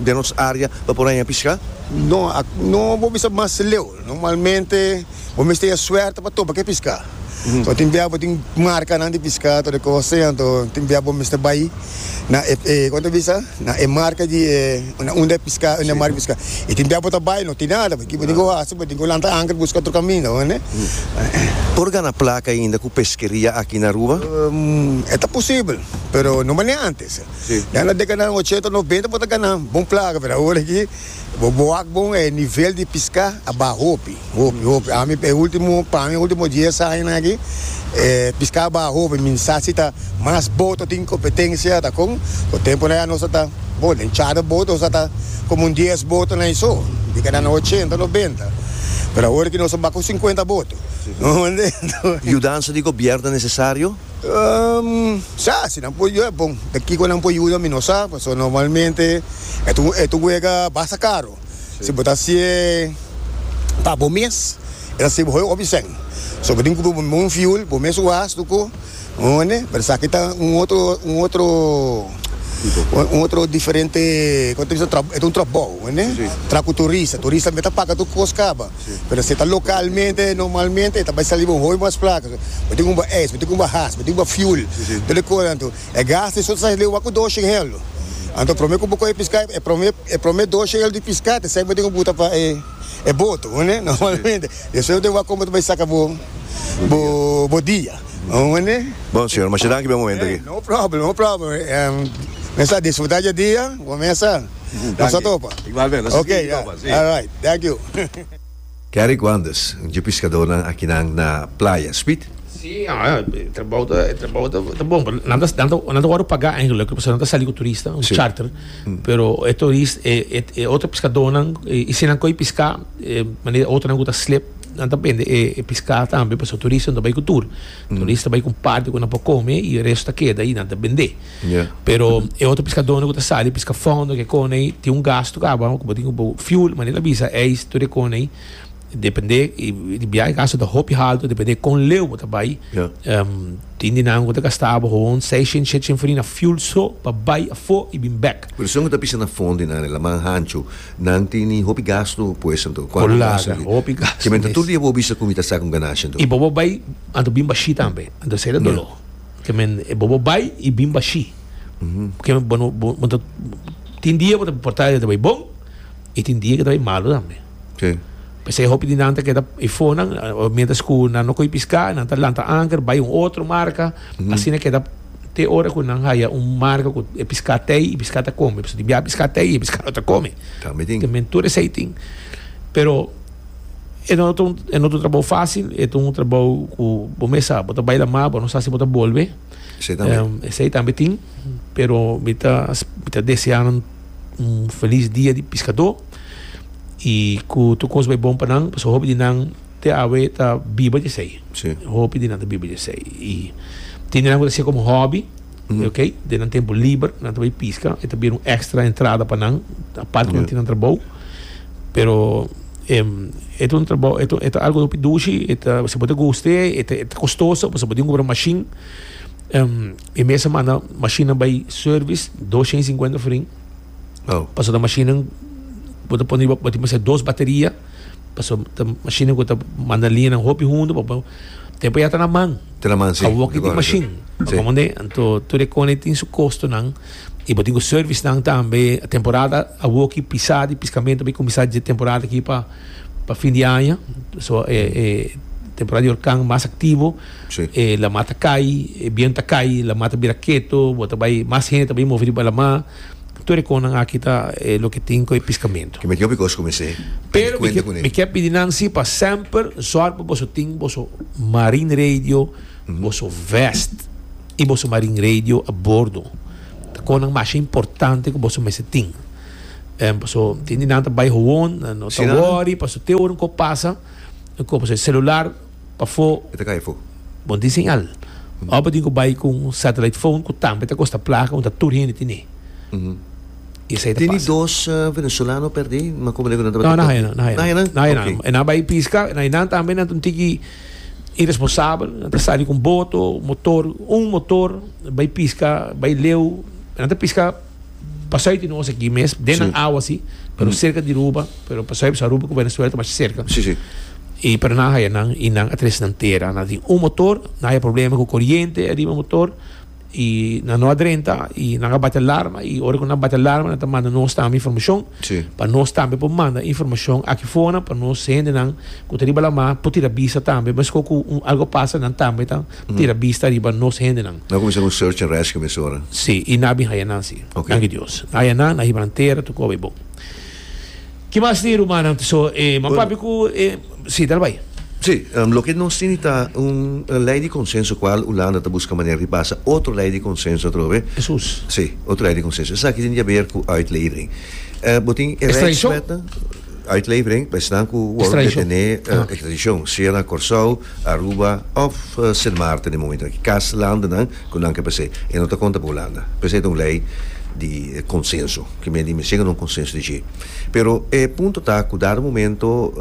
den nos área pa por haña pishká? No, ak no bo bisa mas leu. Normalmente bo mester haña suerte pa topa ke pishká. So tin bia bo tin markanan di pishká, tur e kos así. Anto tin bia bo mester bai na e, e kon ta bisa? Na e marka di e na unda e piská unda e mari piská e tin tempo ta bai no tin nada bo kiba tin ku hasi bo tin ku lanta anker buska otro kaminda bo ne. Por gana plaka ainda ku peskeria aki na Aruba? E ta posibel pero no manera antes. Na e dekadanan ochenta noventa bo ta gana bon plaka pero awor aki. Bo bo wak bon e nivel di piská a baha hopi, hopi, hopi. Ami e último, pa mi e último dies añanan aki e piská a baha hopi. Mi sa si ta mas boto tin kompetensia ta kon. Ku tempunan ya nos a ta, bo, den chada boto nos a ta komo un dies botonan i so. Di keda nan ochenta, nobenta. Pero awor aki nos a ba ku sinkuenta boto. Bo mende? Yudansa di gobièrnu ta nesesario? Sa, si nan por yuda, bon, den kiko nan por yuda mi no sa, pasobra normalmente e ta un, e ta un wega basta karo. Si bo ta hasi e pa bo mes, e ta sirbi hopi, hopi sèn. So, bo tin kumpra bo un fiul, bo mes wàs lo ko, bo hende, pero esaki ta un otro, un otro, un otro diferente, e ta un trabou, bo hende, tra ku turista. Turista tambe ta paga tur kos kaba. Pero si e ta localmente, normalmente e ta bai sali bo un hopi mas placa. Bo tin cumba ijs, bo tin cumba haas, bo tin cumba fuel, tur e cos anto. E gas di esotros ta hende wak cu dos shengel. Anto prome cu bo coge pisca, e prome, e prome dos shengel di pisca ta esai bo tin cu buta pa e, e boto, bo ne, normalmente. Despues bo tin wak con bo ta bai saca bo, bo, bo dia, bo ne. Bon señor, masha danki pa e momento aki. No problem, no problem. Mester a disfruta dje dia cu bo mester. Nos a topa. Igualmente, nos a sigui topa, si. Alright, thank you. Kerry Guanders, un dje piskadónan akinan na playa, Speed? Sí, e trabou ta, e trabou ta, ta bon, pero nan ta, nan ta, nan ta wòrdu pagá eigenlijk, pasobra nan ta sali ku turista, un charter, pero e turist, e, e, e otro piskadónan, i si nan kohe piská, e manera otronan ku ta slip, nan ta bende e, e piská tambe, pasobra turista no ta bai ku tur. Turista bai cu parti cu nan por come y resto ta keda ahi, nan ta bende. Pero e otro piscadornan cu ta sali pisca fondo cu e cona ahi tin un gasto caba cu bo tin cu bo fuel, manera el a bisa eis tur e cona ahi depende e biaha e gasto ta hopi halto depende con leu bo ta bai. Tin di nan cu ta gasta boso un seiscientos, shechent for di na fuel so pa bai afo y bin back. Pero si nan cu ta pisca na fondo y nan e laman hancho. Nan tin ni hopi gastu pues anto cuantu mi a sali. Con laga, hopi gastu. Kimen ta tur dia bo bisa cu mi ta sa un ganashi anto. Y bobo bay anto bin bashi tambe. Anto esey ta dolo. Kimen bobo bay y bin bashi. Kimen bo no bo ta tin dia bo ta porta di ta bay bon y tin dia ki ta bay malo tambe. Si. Pesey hopi di nan ta keda before nan mientras cu nan no cogi pisca nan ta lanta anker bay un otro marca asina keda. te ora ku nan haya un marka ku e piská ta ei, e piská ta kome, pasobra di biaha piská ta ei, e piská no ta kome. Ta mi tin. Tambe tur esei tin. Pero e no ta un, e no ta un trabou fásil, e ta un trabou ku bo mes sa, bo ta bai la mar, bo no sa si bo ta bolbe. Esei tambe. Em, esei tambe tin. Pero mi ta, mi ta deseá nan un felis dia di piskadó i ku tur kos bai bon pa nan, pasobra hopi di nan Te awe ta biba di esei. Sí. Hopi di nan ta biba di esei. I tin di nan ku ta hasié komo hòbi, ok, den nan tempu liber nan ta bai piska, e ta bira un èkstra entrada pa nan, apart ku nan Ya. tin nan trabou. Pero, em, e ta un trabou, e ta, e ta algu hopi dushi, e ta, si bo ta guste, e ta, e ta kostoso, pasobra bo tin ku kumpra un mashin. Em, e mes a manda mashinnan bai sèrvis, dos shen i sinkuenta frin, Wou. pasobra mashinnan bo ta pone, bo tin mester dos bateria. Paso ta machine cu ta manda liñanan hopi hunto pa bo. Tempo ya ta na man. Ta na man, si. Awo ki tin machine. Pa como ne? Anto tur e cone tin su costonan y bo tin cu servicenan tambe. Temporada awo ki pisa di piscamento bay cuminsa dje temporada aki pa pa fin di aña. So e e temporada di hurcan mas activo. Si. E lama ta cay, e biento ta cay, lama ta bira keto, bo ta bay, mas hende ta bay move riba lama. Tur e konan aki ta e loke tin ku e piskamentu. Ke mi kio bikos kuminsé pidi kuenta kuné. Pero mi ke pidi nan si pa semper sòri pa boso tin boso marine radio, boso vest i boso marine radio a bordo. Ta konan masha importante ku boso mester tin. Paso tin di nan ta bai howon, no ta wòri paso te ora un kos pasa ku boso e selular. Pafó. E ta kai afó. Bon tin señal. Ora bo tin ku bai ku un satellite phone ku tambe ta kosta plaka unda tur hende tin e. I esei ta pasa. Tene dos venezolano perdé makomende ku nan tabata perdé? No, nan haña nan. Nan haña nan. Nan haña nan. Ok. E nan bai piska, nan i nan tambe, nan ta un tiki iresponsabel, nan ta sali ku un boto, motor, un motor, bai piska, bai leu, nan ta piska. Pasui tin nos aki mes, den nan awa si, pero serka di Aruba, pero pasui bisa Aruba ku Venezuela ta masha serka. Sí, sí. I pero nan haya nan i nan a tres nan tera. Nan tin un motor, nan haya problema ku koriente ariba motor i nan no a drenta i nan a bati alarma i ora ku nan bati alarma nan ta manda nos tambe informashon Sí. pa nos tambe por manda informashon aki fonan pa nos hende nan ku ta riba lamar por tira bisa tambe meskor ku un algo pasa nan tambe ta tira bista riba nos hendenan. Nan a kuminsá ku un search and rescue mesora? Sí, i nan a bin haya nan sí. Ok. Danki Dios. Nan haya nan, nan hiba nan tera, tokó bai bon. Ki mas tin rumannan tin so e man Bueno. papi ku e Sí, dal bai. Sí, loke nos tin i ta un lei di konsenso kual Hulanda ta buska manera di pasa otro lei di konsenso atrobe. Esus. Sí, otro lei di konsenso. Esaki tin di haber ku uitlevering. Bo tin e Extradishon? rijkswetnan, uitlevering pa esnan ku wòrdu Extradishon. detené, Aha. ekstradishon, sea na Kòrsou, Aruba of Sint Maarten den momentonan ki kas landennan ku nan ke p'esei e no ta konta pa Hulanda. P'esei ta un lei di konsenso, ke men di mi shega na un konsenso di dje. Pero e punto ta ku dado momento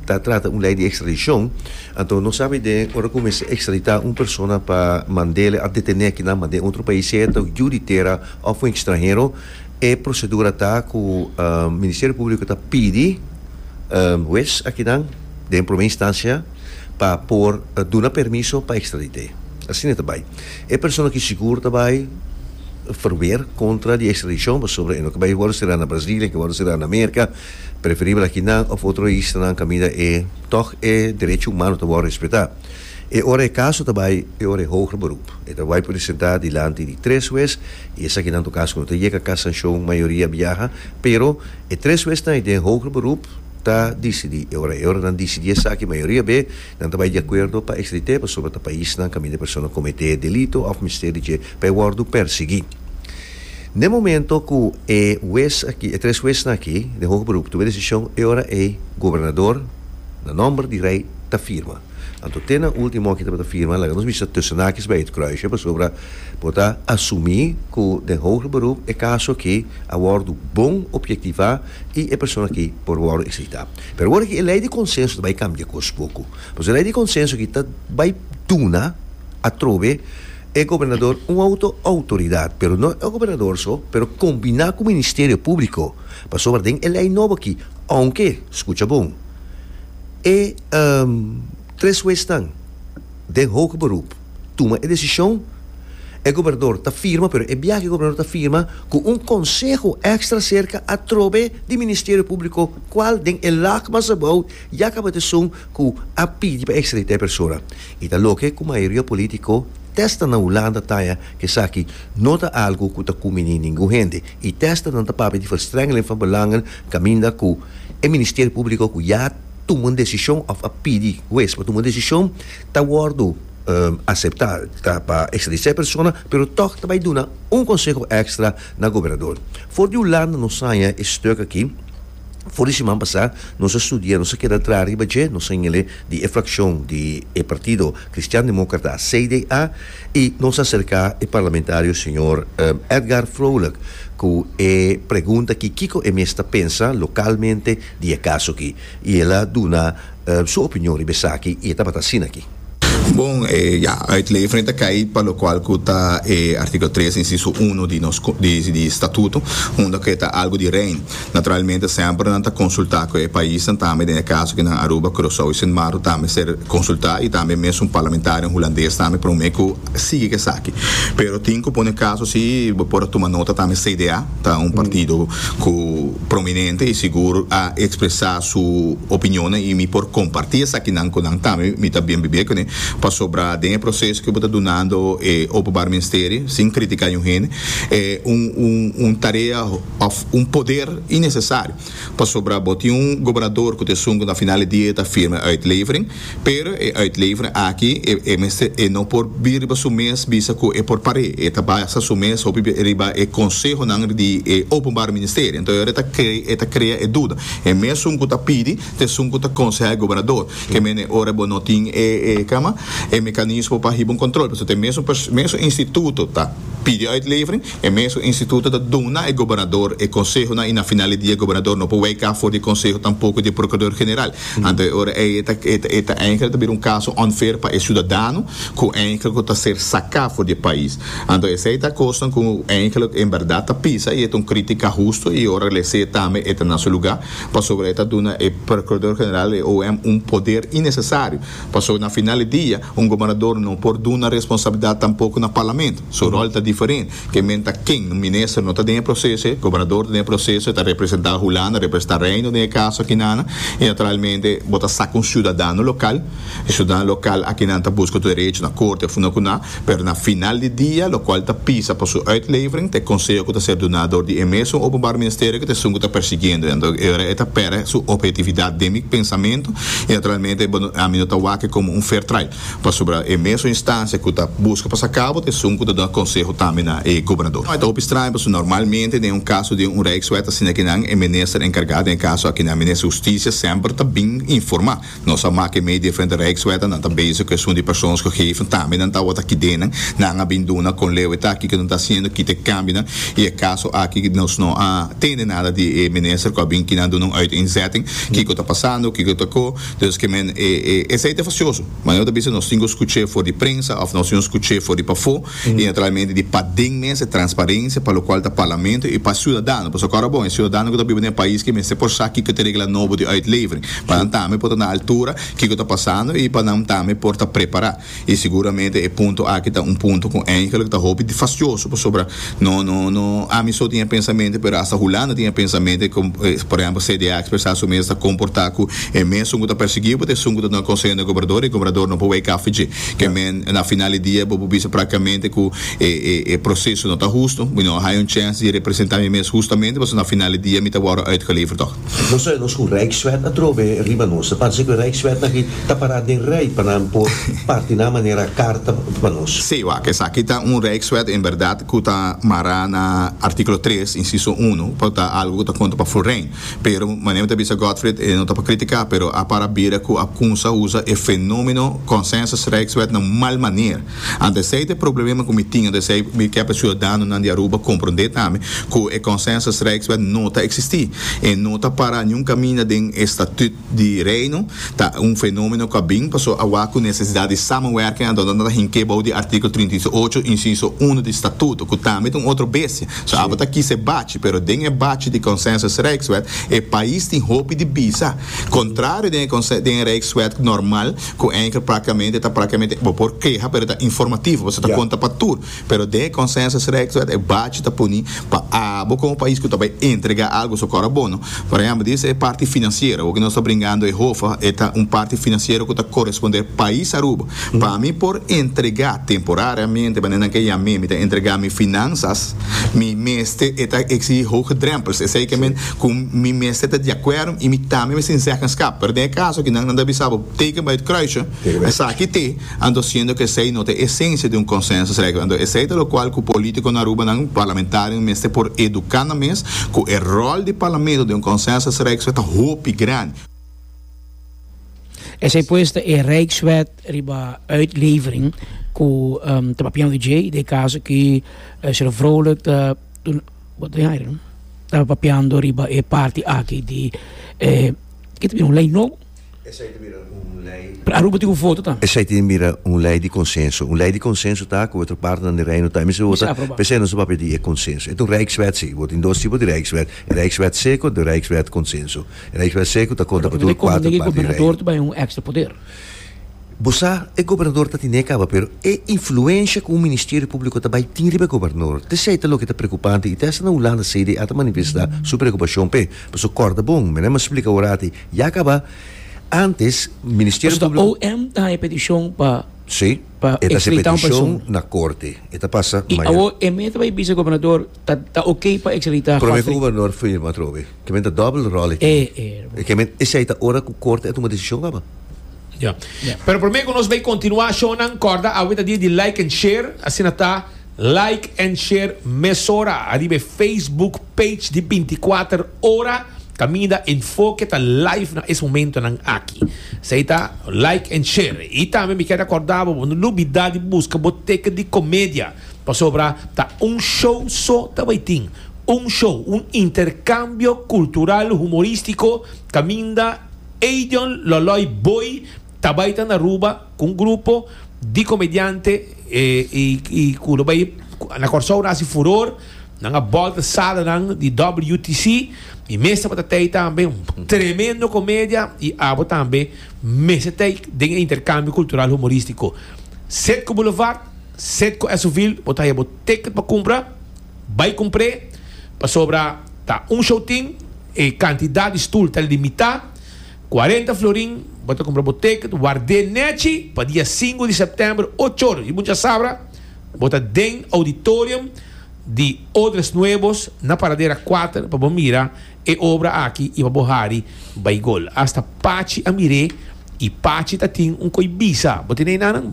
ta trata un lei di ekstradishon, anto no sa biden ora ku mester ekstraditá un persona pa mand'e a detené kinan mand'e otro pais, sea ta yu di tera of un ekstranhero, E procedura ta cu Ministerio Publico ta pidi huez akinan den prome instancia pa por duna permiso pa extradite. Asina e ta bay. E persona ki sigur ta bay verweer contra di extradicion pasobra e no ke bay worde sera na Brasil, e ke worde sera na America, preferibel akinan of otro isla nan caminda e tog e derecho humano ta worde respeta. E ora e kaso ta bai e ora e Hoger Beroep. E ta bai presentá dilanti di tres hues i esaki nan tocaso ku no ta yega kasanshon mayoria biaha, pero e tres huesnan den Hoger Beroep ta disidí. E ora e ora nan disidí esaki mayoria be nan ta bai di akuerdo pa ekstrit'é pasobra ta paisnan kaminda e persona kometé delito òf mester di dje pa e wòrdu pèrsiguí. Den momento ku e hues aki, e tres huesnan aki den Hoger Beroep tum'é desishon e ora ei gobernador na nòmber di rei ta firma. Anto te na ultimo aki tabata firma laga nos bisa tussen haakjes bij het kruisje pasobra bo ta asumí ku den hoger beroep e kaso aki a wòrdu bon objektivá i e persona aki por wòrdu ekstraditá. Pero awor aki e lei di konsenso ta bai kambia kos poku pasobra e lei di konsenso aki ta bai duna atrobe e gobernador un outo outoridat pero no e gobernador so pero kombiná ku ministerio públiko pasobra den e lei nobo aki ounke skucha bon E tres huesnan den hoge beroep tuma e desishon, e gobernador ta firma, pero e biaha e gobernador ta firma ku un konseho èkstra serka atrobe di Ministerio Públiko kual den e lak mas abou ya kaba ta esun ku a pidi pa ekstraditá e persona. I ta loke ku mayoria polítiko testa na Hulanda taña ku esaki no ta algu ku ta kuminí ningun hende i testa nan ta papia di verstrengeling van belangen Caminda cu e Ministerio Publico cu ya tuma un decision of a pidi hues pa tuma un decision ta wordo acepta ta pa extradisa e persona pero toch ta bay duna un conseho extra na Gobernador. For di Hulanda nos saya e stuk aki, for di siman pasa nos a studia nos a keda dra riba dje nos a yingele di e fraccion di e partido Cristian Democrata, CDA, I nos a serká e parlamentario señor Edgar Vrolijk ku e pregunta ki kiko e mes ta pensa lokalmente di e kaso aki. I el a duna su opinion riba esaki i e tabata asin'aki. Bon, ya, e lei Efrain ta kai pa lokual ku ta e artíkulo tres, insiso uno di nos di statuto, unda ku e ta algu di rein. Naturalmente semper nan ta consulta cu e paisnan tambe, den e caso aki nan Aruba, Curacao y Sint Maarten ta mester consulta y tambe mes un parlamentarian Hulandes tambe prome cu sigui cu esaki. Pero tin cu pone caso si bo por a tuma nota tambe CDA ta un partido cu prominente y sigur a expresa su opinionnan y mi por comparti esakinan cu nan tambe mi ta bien bibia cune pasobra den e proceso cu bo ta dunando e Openbaar Ministerie sin critica aun hende e un tarea òf un poder innesesario, pasobra bo tin un gobernador ku ta esun ku na final di dia e ta firma e uitlevering, pero e uitlevering aki e mester e no por bira riba su mes bisa ku e por par'é, e ta basa su mes hopi bia riba e konsehonan di e Openbare Ministerio, enton e ora e ta krea e duda, e mesun ku ta pidi ta esun ku ta konsehá e gobernador, ke mene e ora bo no tin e kama e mekanismo pa hiba un kontrol, pasobra ta e mesun mesun instituto ta pidi uitlevering. E mesun instituto ta duna e gobernador e consehonan y na final di dia e gobernador no por weka for di e conseho tampoco di e procurador general. Anto e ora ey e ta e ta eindelijk ta bira un caso unfair pa e ciudadano cu eindelijk cu ta ser saca for di e pais. Anto esey ta cosnan cu eindelijk en berdad ta pisa y e ta un critica husto y ora lese tambe e ta na su lugar pasobra e ta duna e procurador general y e OM un poder innecesario. Pasobra na final di dia, un gobernador no por duna responsabilidad tampoco na Parlamento. Su rol ta diferente. Ke men ta ken? Un minister no ta den e proceso e gobernador ta den e proceso, e ta representa Hulanda, representa Reino den e caso akinan, y naturalmente bo ta saca un ciudadano local, e ciudadano local akinan ta busca tur derecho na corte of no cu nan. Pero na final di dia, lokual ta pisa pa su uitlevering, ta e konseho ku ta ser duná dor di e mesun Openbaar Ministerio kut esun ku ta persigiendo en. E ora e ta pèrdè su ophetividat den mi pensamentu i naturalmente bo ami no ta wak e komo un fair trial pasobra e mesun instansia ku ta buska pa sa kabo ta esun ku ta duna konseho tambe na e gobernador. Ta hopi straño pasobra normalmente den un kaso di un rijkswet asina kinan e minister enkargá den e kaso akinan, minister Hustisia, semper ta bin informá. Nos a mak'é mei diferente Rijkswetten, nan ta bezig ku esun di persons gegeven, tambe nan ta wòrdu kidennan, nan a bin duna kon leu eta aki ku nan ta hasiendo, kita e kambionan, i e kaso aki nos no a tende nada di e minister ku a bin kina duna un uiteenzetting, kiko ta pasando, kiko ta ko, dus ke men e esei ta fasioso, manera ku ta bisa nos tin ku skuch'é for di prensa òf nos tin ku skuch'é for di pafó. i naturalmente di paden mes e transparencia pa locual ta Parlamento i pa ciudadano, pasobra ahora bon e ciudadano cu ta biba den e pais aki mester por sa kico ta e regla nobo di uitlevering pa nan tambe por ta na altura kico ta pasando i pa nan tambe por ta prepara i seguramente e punto aki ta un punto cu eindelijk ta hopi fastioso pasobra no no no ami so tin e pensamiento pero hasta Hulanda tin e pensamiento cu por ehempel CDA a expresa su mes ta comporta cu e mesun cu ta persigibo ta esun cu ta duna conseho na e gobernador i e gobernador no por wei caffi dje. Ke men na final di dia bo por bisa praktikamente ku e e e proseso no ta hustu, mi no a haña un chèns di representá mi mes hustamente, pasobra na final di dia mi ta wòrdu uitgeleverd tòg. Nos ta oe nos ku Rijkswet a trobe riba nos. Ta parse ku Rijkswet aki ta pará den rei pa nan por parti nan manera karta pa nos. Sí, wak, esaki ta un Rijkswet en bèrdat ku ta mará na artíkulo tres, insiso uno, ku ta algu ku ta konta pa Florijn. Pero, manera mi ta bisa Gottfried, e no ta pa kritika, pero a para bira ku a kumsa usa e fenomeno Consensus-Rijkswet na un mal maner. Ant esei ta e problemeba ku mi tin, ant esei mi kèp e siudadanonan di Aruba komprondé tambe ku e Consensus-Rijkswet no ta eksistí. E no ta para niun kaminda den e statüt. di Reino ta un fenomeno cu a bin paso awa cu necesidad di samenwerking a dona no ta hink'é bou di artikel trinta i ocho, inciso uno di Statuto, cu tambe ta un otro bestia. So abo ta kisa e bachi, pero den e bachi di Consensus-Rijkswet e pais tin hopi di bisa, contrario den e conse, den e Rijkswet normal cu enkel practicamente ta practicamente, bo por keha pero ta informativo paso ta conta pa tur. Pero den e consensus rechtswet e bachi ta puni pa abo como pais cu ta bay entrega algo su cora bono. Por ehempel di esa e parti financiero awo cu nos ta bringando e hofa e ta un parti financiero cu ta coresponder pais Aruba pa mi por entrega temporariamente manera nan ke ya mi mi ta entrega mi finanzas mi mester e ta exigi hoge drempels esey ke men cu mi mester ta di acuerdo y mi tambe mester inzeggenschap pero den e caso aki nan nan ta bisa bo teken bay het kruisje esaki te. Anto siendo cu esey no ta esencia di un consensus regla, anto esey ta locual cu politico na Arubanan, parlamentarionan, mester por educa nan mes cu e rol di parlamento den un consensus regswet ta hopi grandi. Esey pues ta e regswet riba uitlevering cu ta papian OJ den e caso cu Sr. Vrolijk ta ta papiando riba e parti aki di e, ki ta bira un ley nobo. Esei ta bira un lei. Pero Aruba tin ku voto tambe. Esei tin bira un lei di konsenso. Un lei di konsenso ta ku otro partenan di Reino tambe mester wota, p'esei nos ta papia di e konsenso. E ta un rijkswet si. Bo tin dos tipo di rijkswet, e rijkswet seko dor rijkswet konsenso. E rijkswet seko ta konta pa tur kuater parti di Reino. Pero ta konveni ku e gobernador ta bai un ekstra poder. Bo sa, e gobernador ta tene kaba, pero e influensha ku un ministerio públiko ta bai tin riba e gobernador, t'esei ta loke ta preokupante i ta hasta na Hulanda CDA ta manifestá su preokupashon p'e. Pasobra kòrda bon, mira, mi a splika ora aki, Ya caba, antes Ministerio Publico. Pasobra OM ta han e peticion pa extradita un persona. E ta hasi peticion na Corte. E ta pasa mañana. Y awor e meta pa e bisa Gobernador ta ok pa extradita Godfrey. Prome cu Gobernador firma atrobe. Kimen ta double role aki. E kimen esey ta ora cu Corte a tuma decision caba. Ya. Pero prome cu nos bay continua shownan, corda awe ta dia di like and share. Asina ta. Like en share mesora ariba e Facebook page di binticuater ora caminda enfoke ta live na es momentonan aki. Esey ta like en share. Y tambe mi kier a corda bo bo no lubida di busca bo teken di comedia pasobra ta un show so ta bay tin. Un show, un intercambio cultural humoristico caminda Eidion Loloy Boy ta bay ta na Aruba. cu un grupo di comediante y cu lo bay na Corsou nan haci furor nan a bolta sala nan di WTC y mes tabata tay tambe tremendo comedia y abo tambe mester tay den e intercambio cultural humoristico set cu Boulevard set cu Esovil bo ta haye bo ticket pa cumpra bay cumpr'e pasobra ta un show tin e cantidad di stoel ta limita Cuarenta florin bo ta cumpra bo ticket wardé nechi pa dia sinku di september ocho ora. Si bo dja sabra bo ta den auditorium di Odres Nuevos na paradera cuater pa bo mira e obra aki y pa bo hari bay gol. Hasta Pachi a miré y Pachi ta tin un koy bisa. Bo tin eynan?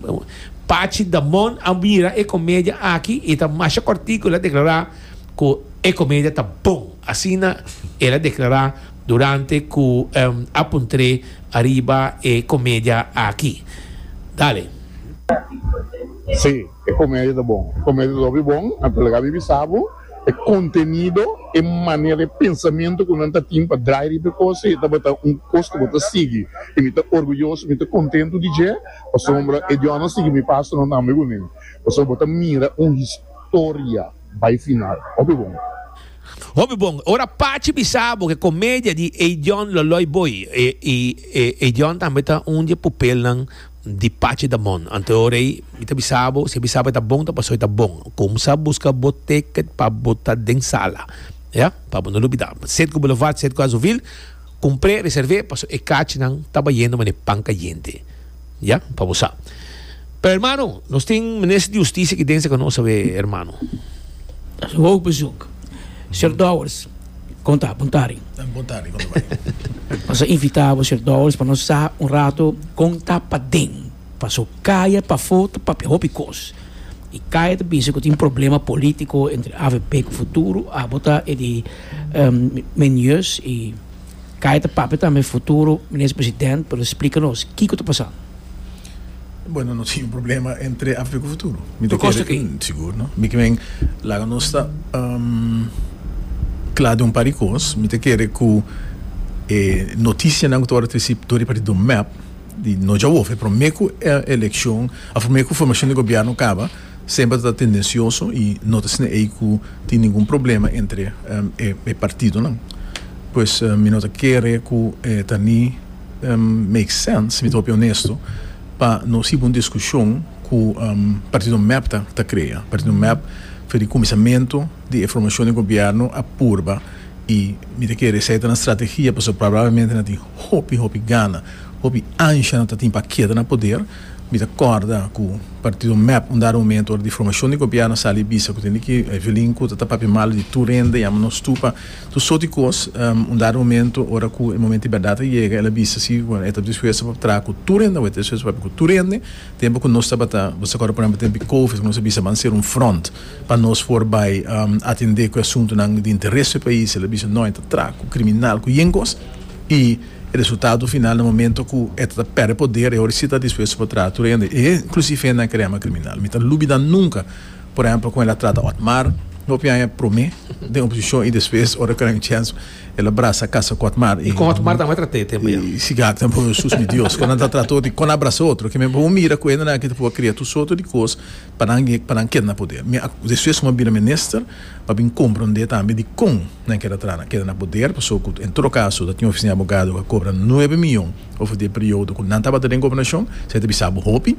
Pachi Damon a mira e comedia aki y e ta masha cortico el a declara cu e comedia ta bon. Asina el a declara. Durante cu a puntré ariba e comedia aki. Dale. Sí, e comedia ta bon. E comedia ta hopi bon, a ta laga mi bisa bo, e contenido, e manera, e pensamento cu nan ta tin pa draai riba e cos ei tabata un cos cu bo ta sigui y mi ta orguyoso, mi ta contento di dje, pasobra e diosnan sigui mi pasonan tambe cun'e, pasobra bo ta mira un historia. bai final. Hopi bon. Hopi bon. Ora Pachi bisa bo cu e comedia di Eidion lo loy boy. Y e Eidion tambe ta un di e pupelnan di Pachi Damon. Anto ora ey mi ta bisa bo, si e bisa bo e ta bon ta paso e ta bon. Cumsa busca bo ticket pa bo ta den sala. Ya. Pa bo no lubida. Set cu bulevard, set cu azuvil. Cumpre, reserve, paso e cachinan ta bayendo manera pan cayente. Ya, pa bo sa. Pero hermano, nos tin Minister di Husticia aki densa cu nos a wee, hermano. Nos a hoog bezoek. Señor Dowers, como ta? Bon tardi. Bon tardi, como ta bay? Nos a invita bo, señor Dowers, pa nos sa un rato con ta paden. Paso kaya pafó ta papia hopi kos i kaya ta bisa ku tin problema polítiko entre avp ku Futuro. Abo ta e di men Jus i kaya ta papia tambe Futuro, Minister President, pa lo splika nos kiko ta pasando. Bueno, no tin un problema entre avp ku Futuro. Mi ta kere ku sigur no. Mi kimen laga nos ta kla den un par di kos. Mi ta kere ku e notisianan ku ta wòrdu trisí dor i parti Donmep, Di no djawof, e prome ku e elekshon, a prome ku formashon di gobièrnu kaba, semper ta tendensioso i no ta sina ei ku tin ningun problema entre e partidonan. Pues mi no ta kere ku e ta ni make sense, mi ta hopi onesto, pa nos hiba un diskushon ku partido mep ta krea. Partido mep for di kuminsamentu di e formashon di gobièrnu a purba i mi ta kere esei ta nan stratehia pasobra probablemente nan tin. Hopi hopi gana, hopi ansha no ta tin pa keda na poder. Mi ta corda cu partido mep un dado momento ora di formacion di gobierno a sali bisa cu tene ki violin cu ta ta papia malo di tur hende yama nos tur pa tur soort di cos. Un dado momento ora cu e momento di berdad ta yega el a bisa si bueno e ta dispuesto pa traha cu tur hende, awe e ta dispuesto pa papia cu tur hende. Tempo cu nos tabata bo sa corda por ejemplo tempo di covid cu nos a bisa ban cera un front. pa nos por bai atendé ku e asuntunan di interes p'e pais, el a bisa no, e ta tra ku kriminal ku yen kos i e resultado final na momento ku e ta pèrdè poder e ora si ta dispuesto pa traha tur hende e inklusive hende nan kerema kriminal. Mi ta lubida nunka por ehèmpel kon el a trata Otmar, hopi aña promé den oposishon i despues ora kòrè un chèns el a brasa kasa ku Otmar i siga akta sus mi Dios kon nan ta trata otro i kon nan a brasa otro kimen bo mira ku hende nan aki ta por a kria tur sorto di kos. pa nan yek pa nan keda na poder. Mi a despues kuma bira minister pa bin compra un idea tambe di con nan keda tra nan keda na poder paso cu en todo caso ta tin un oficina abogado cu a cobra nuebe millon over di e periodo cu nan tabata den gobernacion esey ta bisa bo hopi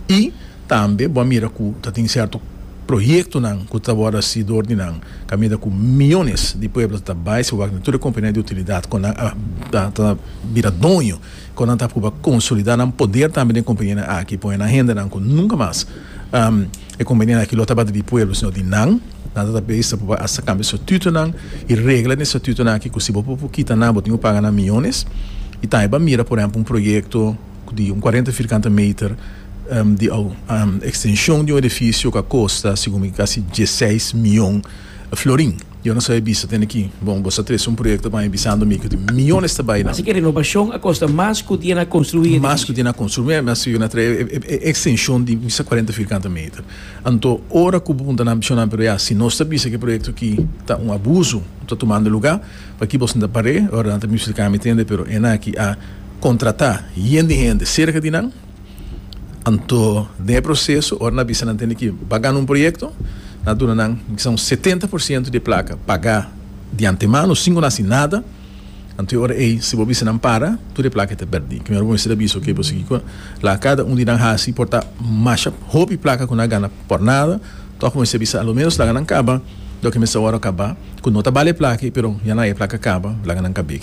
y tambe bo a mira cu ta tin certo proyectonan cu ta worde haci door di nan cu a mira cu millones di pueblo ta bay si wak den tur e compania di utilidad cu nan a ta bira doño Kon nan ta prueba konsolidá nan poder tambe den kompanianan aki, pone nan hendenan ku nunka mas e kompanianan aki lo tabata di pueblo sino di nan. Nan ta tabes ta prueba asta kambia statutonan i regla den e statutonan aki ku si bo por kita nan bo tin ku paga nan miyones. I tambe bo a mira por ehèmpel un proyekto di un kuarenta firkante meter di ekstenshon di un edifisio ku a kosta segun mi kasi dieseis miyon florin. Yo no sa e bisa te aki. Bon, bo sa trece un proyecto pa mi bisando mi cu tin miyones ta bay nan. Así cu e renobacion a costa mas cu tin e na construi e edificio. Mas cu tin e na construi. Mi a bisa yo na trae e extension di bisa cuarenta vierkante meter. Anto, ora cu bo punta nan pichonnan, pero ya, si nos ta bisa cu e proyecto aki ta un abuso, bo ta tumando e lugar, p'aki boso no ta par'e? Ora nan ta mester cami tende, pero enan aki a contrata yen di hende cerca di nan. Anto den e proseso ora nan a bisa nan tende ki ba gana un proyekto nan a duna nan kisa un setenta por siento di e plaka pagá di antemano sin ku nan hasi nada, anto e ora ei si bo bisa nan para tur e plaka e ta pèrdí. Kimer bo mester a bisa oke bo sigui ku la kada un di nan hasi por ta masha hopi plaka ku nan a gana por nada tòg bo mester a bisa alo menos laga nan kaba loke mester ora kabá ku no ta bali e plaka ei pero ya nan hay e plaka kaba laga nan kab'é.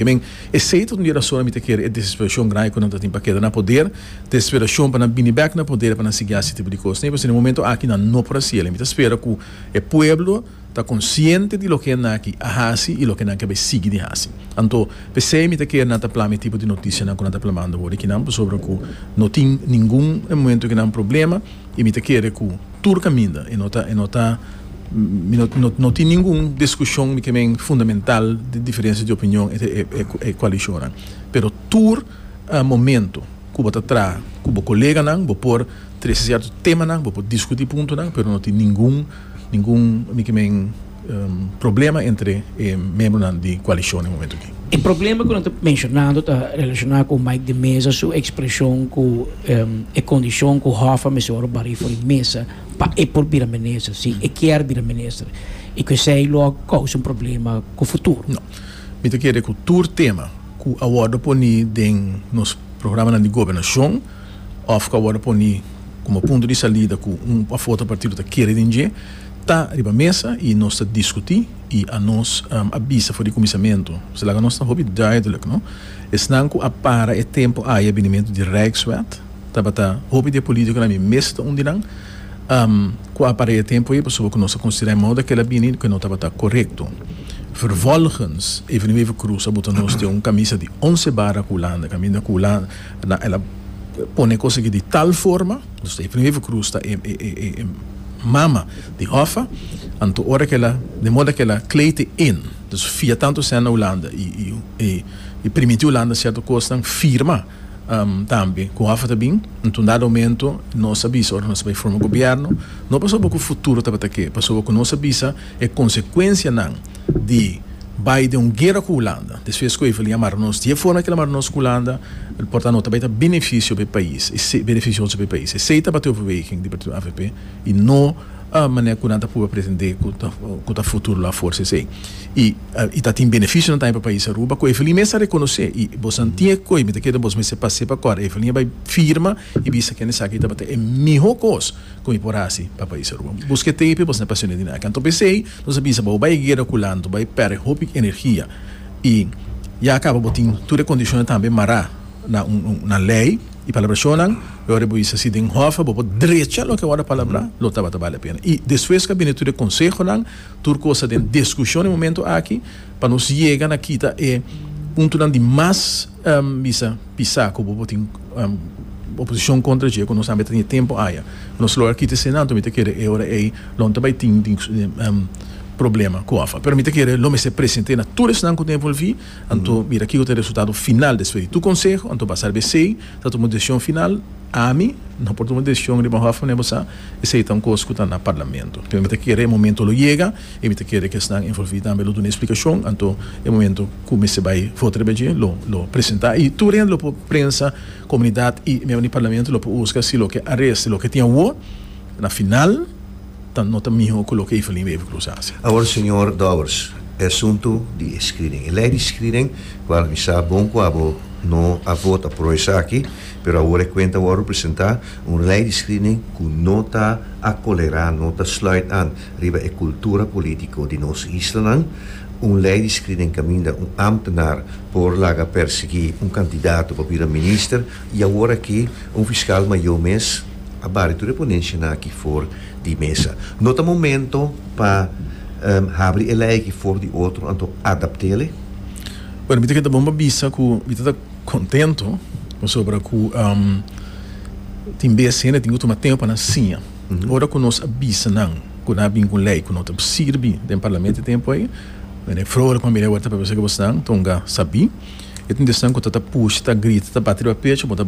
Esei ta un di e rasonnan mi ta kere e desesperacion grandi cu nan ta tin pa keda na poder, desesperacion pa nan bini bek na poder e pa nan sigui haci e tipo di cosnan. I p'esei den momento aki nan no por haci el. I mi ta spera cu e pueblo ta consciente di loke nan aki a haci i loke nan ke bai sigui di haci. Anto p'esei mi ta kere nan ta plama e tipo di noticianan cu nan ta plamando awor di kinan pasobra cu no tin ningun momento kinan problema. y mi ta kere cu tur caminda y no ta y no ta mi no no no tin ningun discusion mi cremen fundamental di diferencia di opinion entre e e e coalicionnan pero tur momento cu bo ta traha cu bo coleganan bo por trece cierto temanan bo por discuti puntonan pero no tin ningun ningun mi cremen. problema entre e membronan di koalishon e momentu aki. E problema ku nan ta menshonando ta relashoná ku Mike de Meza su ekspreshon ku e kondishon ku Hoffa mester wòrdu barí for di mesa pa e por bira minister, si e kier bira minister, i ku esei lo a kousa un problema ku futuro. No. Mi ta kere ku tur tema ku a wòrdu poní den nos programanan di gobernashon òf ku a wòrdu poní komo punto di salida ku un òf otro partido ta kere den dje, Ta riba mesa y nos ta discuti y a nos a bisa for di cuminsamentu. Sa laga nos ta hopi duidelijk, no? Esnan cu a para e tempo aye binimentu di Rijkswet tabata hopi di e politiconan mi mes ta un di nan cu a para e tempo aye pasobra cu nos a considera e modo cu el a bini cu no tabata corecto. Vervolgens e veni even Croes a bota nos den un camisa di once bara cu Hulanda caminda cu Hulanda el a pone e cosa aki di tal forma. Nos ta e primer vukroes ta e e mama di Hoffa, anto ora kila den moda kila Clay te in, dus fia tanto esena Hulanda i i i primiti Hulanda sierto kosnan firma tambe ku Hoffa ta bin, anto un dado momento nos a bisa ora nos a bai forma gobierno no pasobra ku futuro tabata ke pasobra ku nos a bisa E consecuencianan di bay den un guera cu Hulanda. Despues cu Evelyn a mara nos di e forma cu el a mara nos cu Hulanda, el por ta nota bay ta beneficio p'e pais, beneficioso p'e pais. Esey ta bate overweging di partido avp y no manera cu nan ta prueba pretende cu ta futuro lo a forsa esey. Y y ta tin beneficionan tambe pa pais Aruba cu Evelyn mes a reconoce. Y bosnan tin e coe mi ta kere bos mester pa sepa cu ara Evelyn a bay firma y bisa kende sa aki tabata e miho cos. Con i por haci pa pais Aruba? Bos ke tei p'e bos na pasioné di nada. Anto p'esei nos a bisa bo, bo bai e guera cu Lando, bai perde hopi energia i ya a caba bo tin tur e condicionnan tambe mará na un un na ley i palabracionnan. Lo ora bo bisa si den hof bo por drecha loke worde palabrá lo tabata bali a pena. I despues cu a bini tur e consehonan, tur cosa den discusion e momento aki pa nos yega na kita e puntonan di mas. bisa pisa ku bo tin oposishon kontra dje ku nos tambe ta tene tempu aña ku nos lo akí te se nan tok mi ta kere e ora ei lo no ta bai tin problema ku ofa pero mi ta kere lo mester presente na tur esnan ku ta envolvi anto mira kiko ta e resultado final despues di tur konseho anto basa riba esei ta tuma un desishon final ami no por tuma un desishon riba ofa mane bo sa esei ta un kos ku ta na parlamento pero mi ta kere e momento lo yega. Y mi ta kere cu esnan envolvi tambe lo duna explicacion, anto e momento cu mester bay vota riba dje lo lo presenta y tur hende lo por prensa, comunidad y miembro di Parlamento lo por husga si loke a resta y loke tin awo na final ta no ta miho cu loke Evelyn Wever Croes a haci. Awor señor Dowers, e asunto di e screening, e ley di screening cu al mi sa bon cu abo no a vota pro esaki, pero awor e cuenta a worde presenta, un ley di screening cu no ta acolera, no ta sluit aan. riba e kultura polítiko di nos islanan, un lei di skiri den kaminda un ámtenar por laga pèrsiguí un kandidato pa bira minister i awor aki un fiskal mayó mes a bari tur e ponenshanan aki for di mesa. No ta momento pa habri e lei aki for di otro anto adapt'e. Bueno, mi ta keda bon pa bisa ku mi ta ta kontentu pasobra ku tin bes hende tin ku tuma tempu pa nan siña. Ora ku nos a bisa nan ku nan a bin ku un lei ku no ta por sirbi den parlamento e tempu ei, nan e frou riba mi lei ora ta papia esaki bo esnan tonga sabí. E tende esnan ku ta ta pusha, ta grita, ta bati riba pechu bo ta.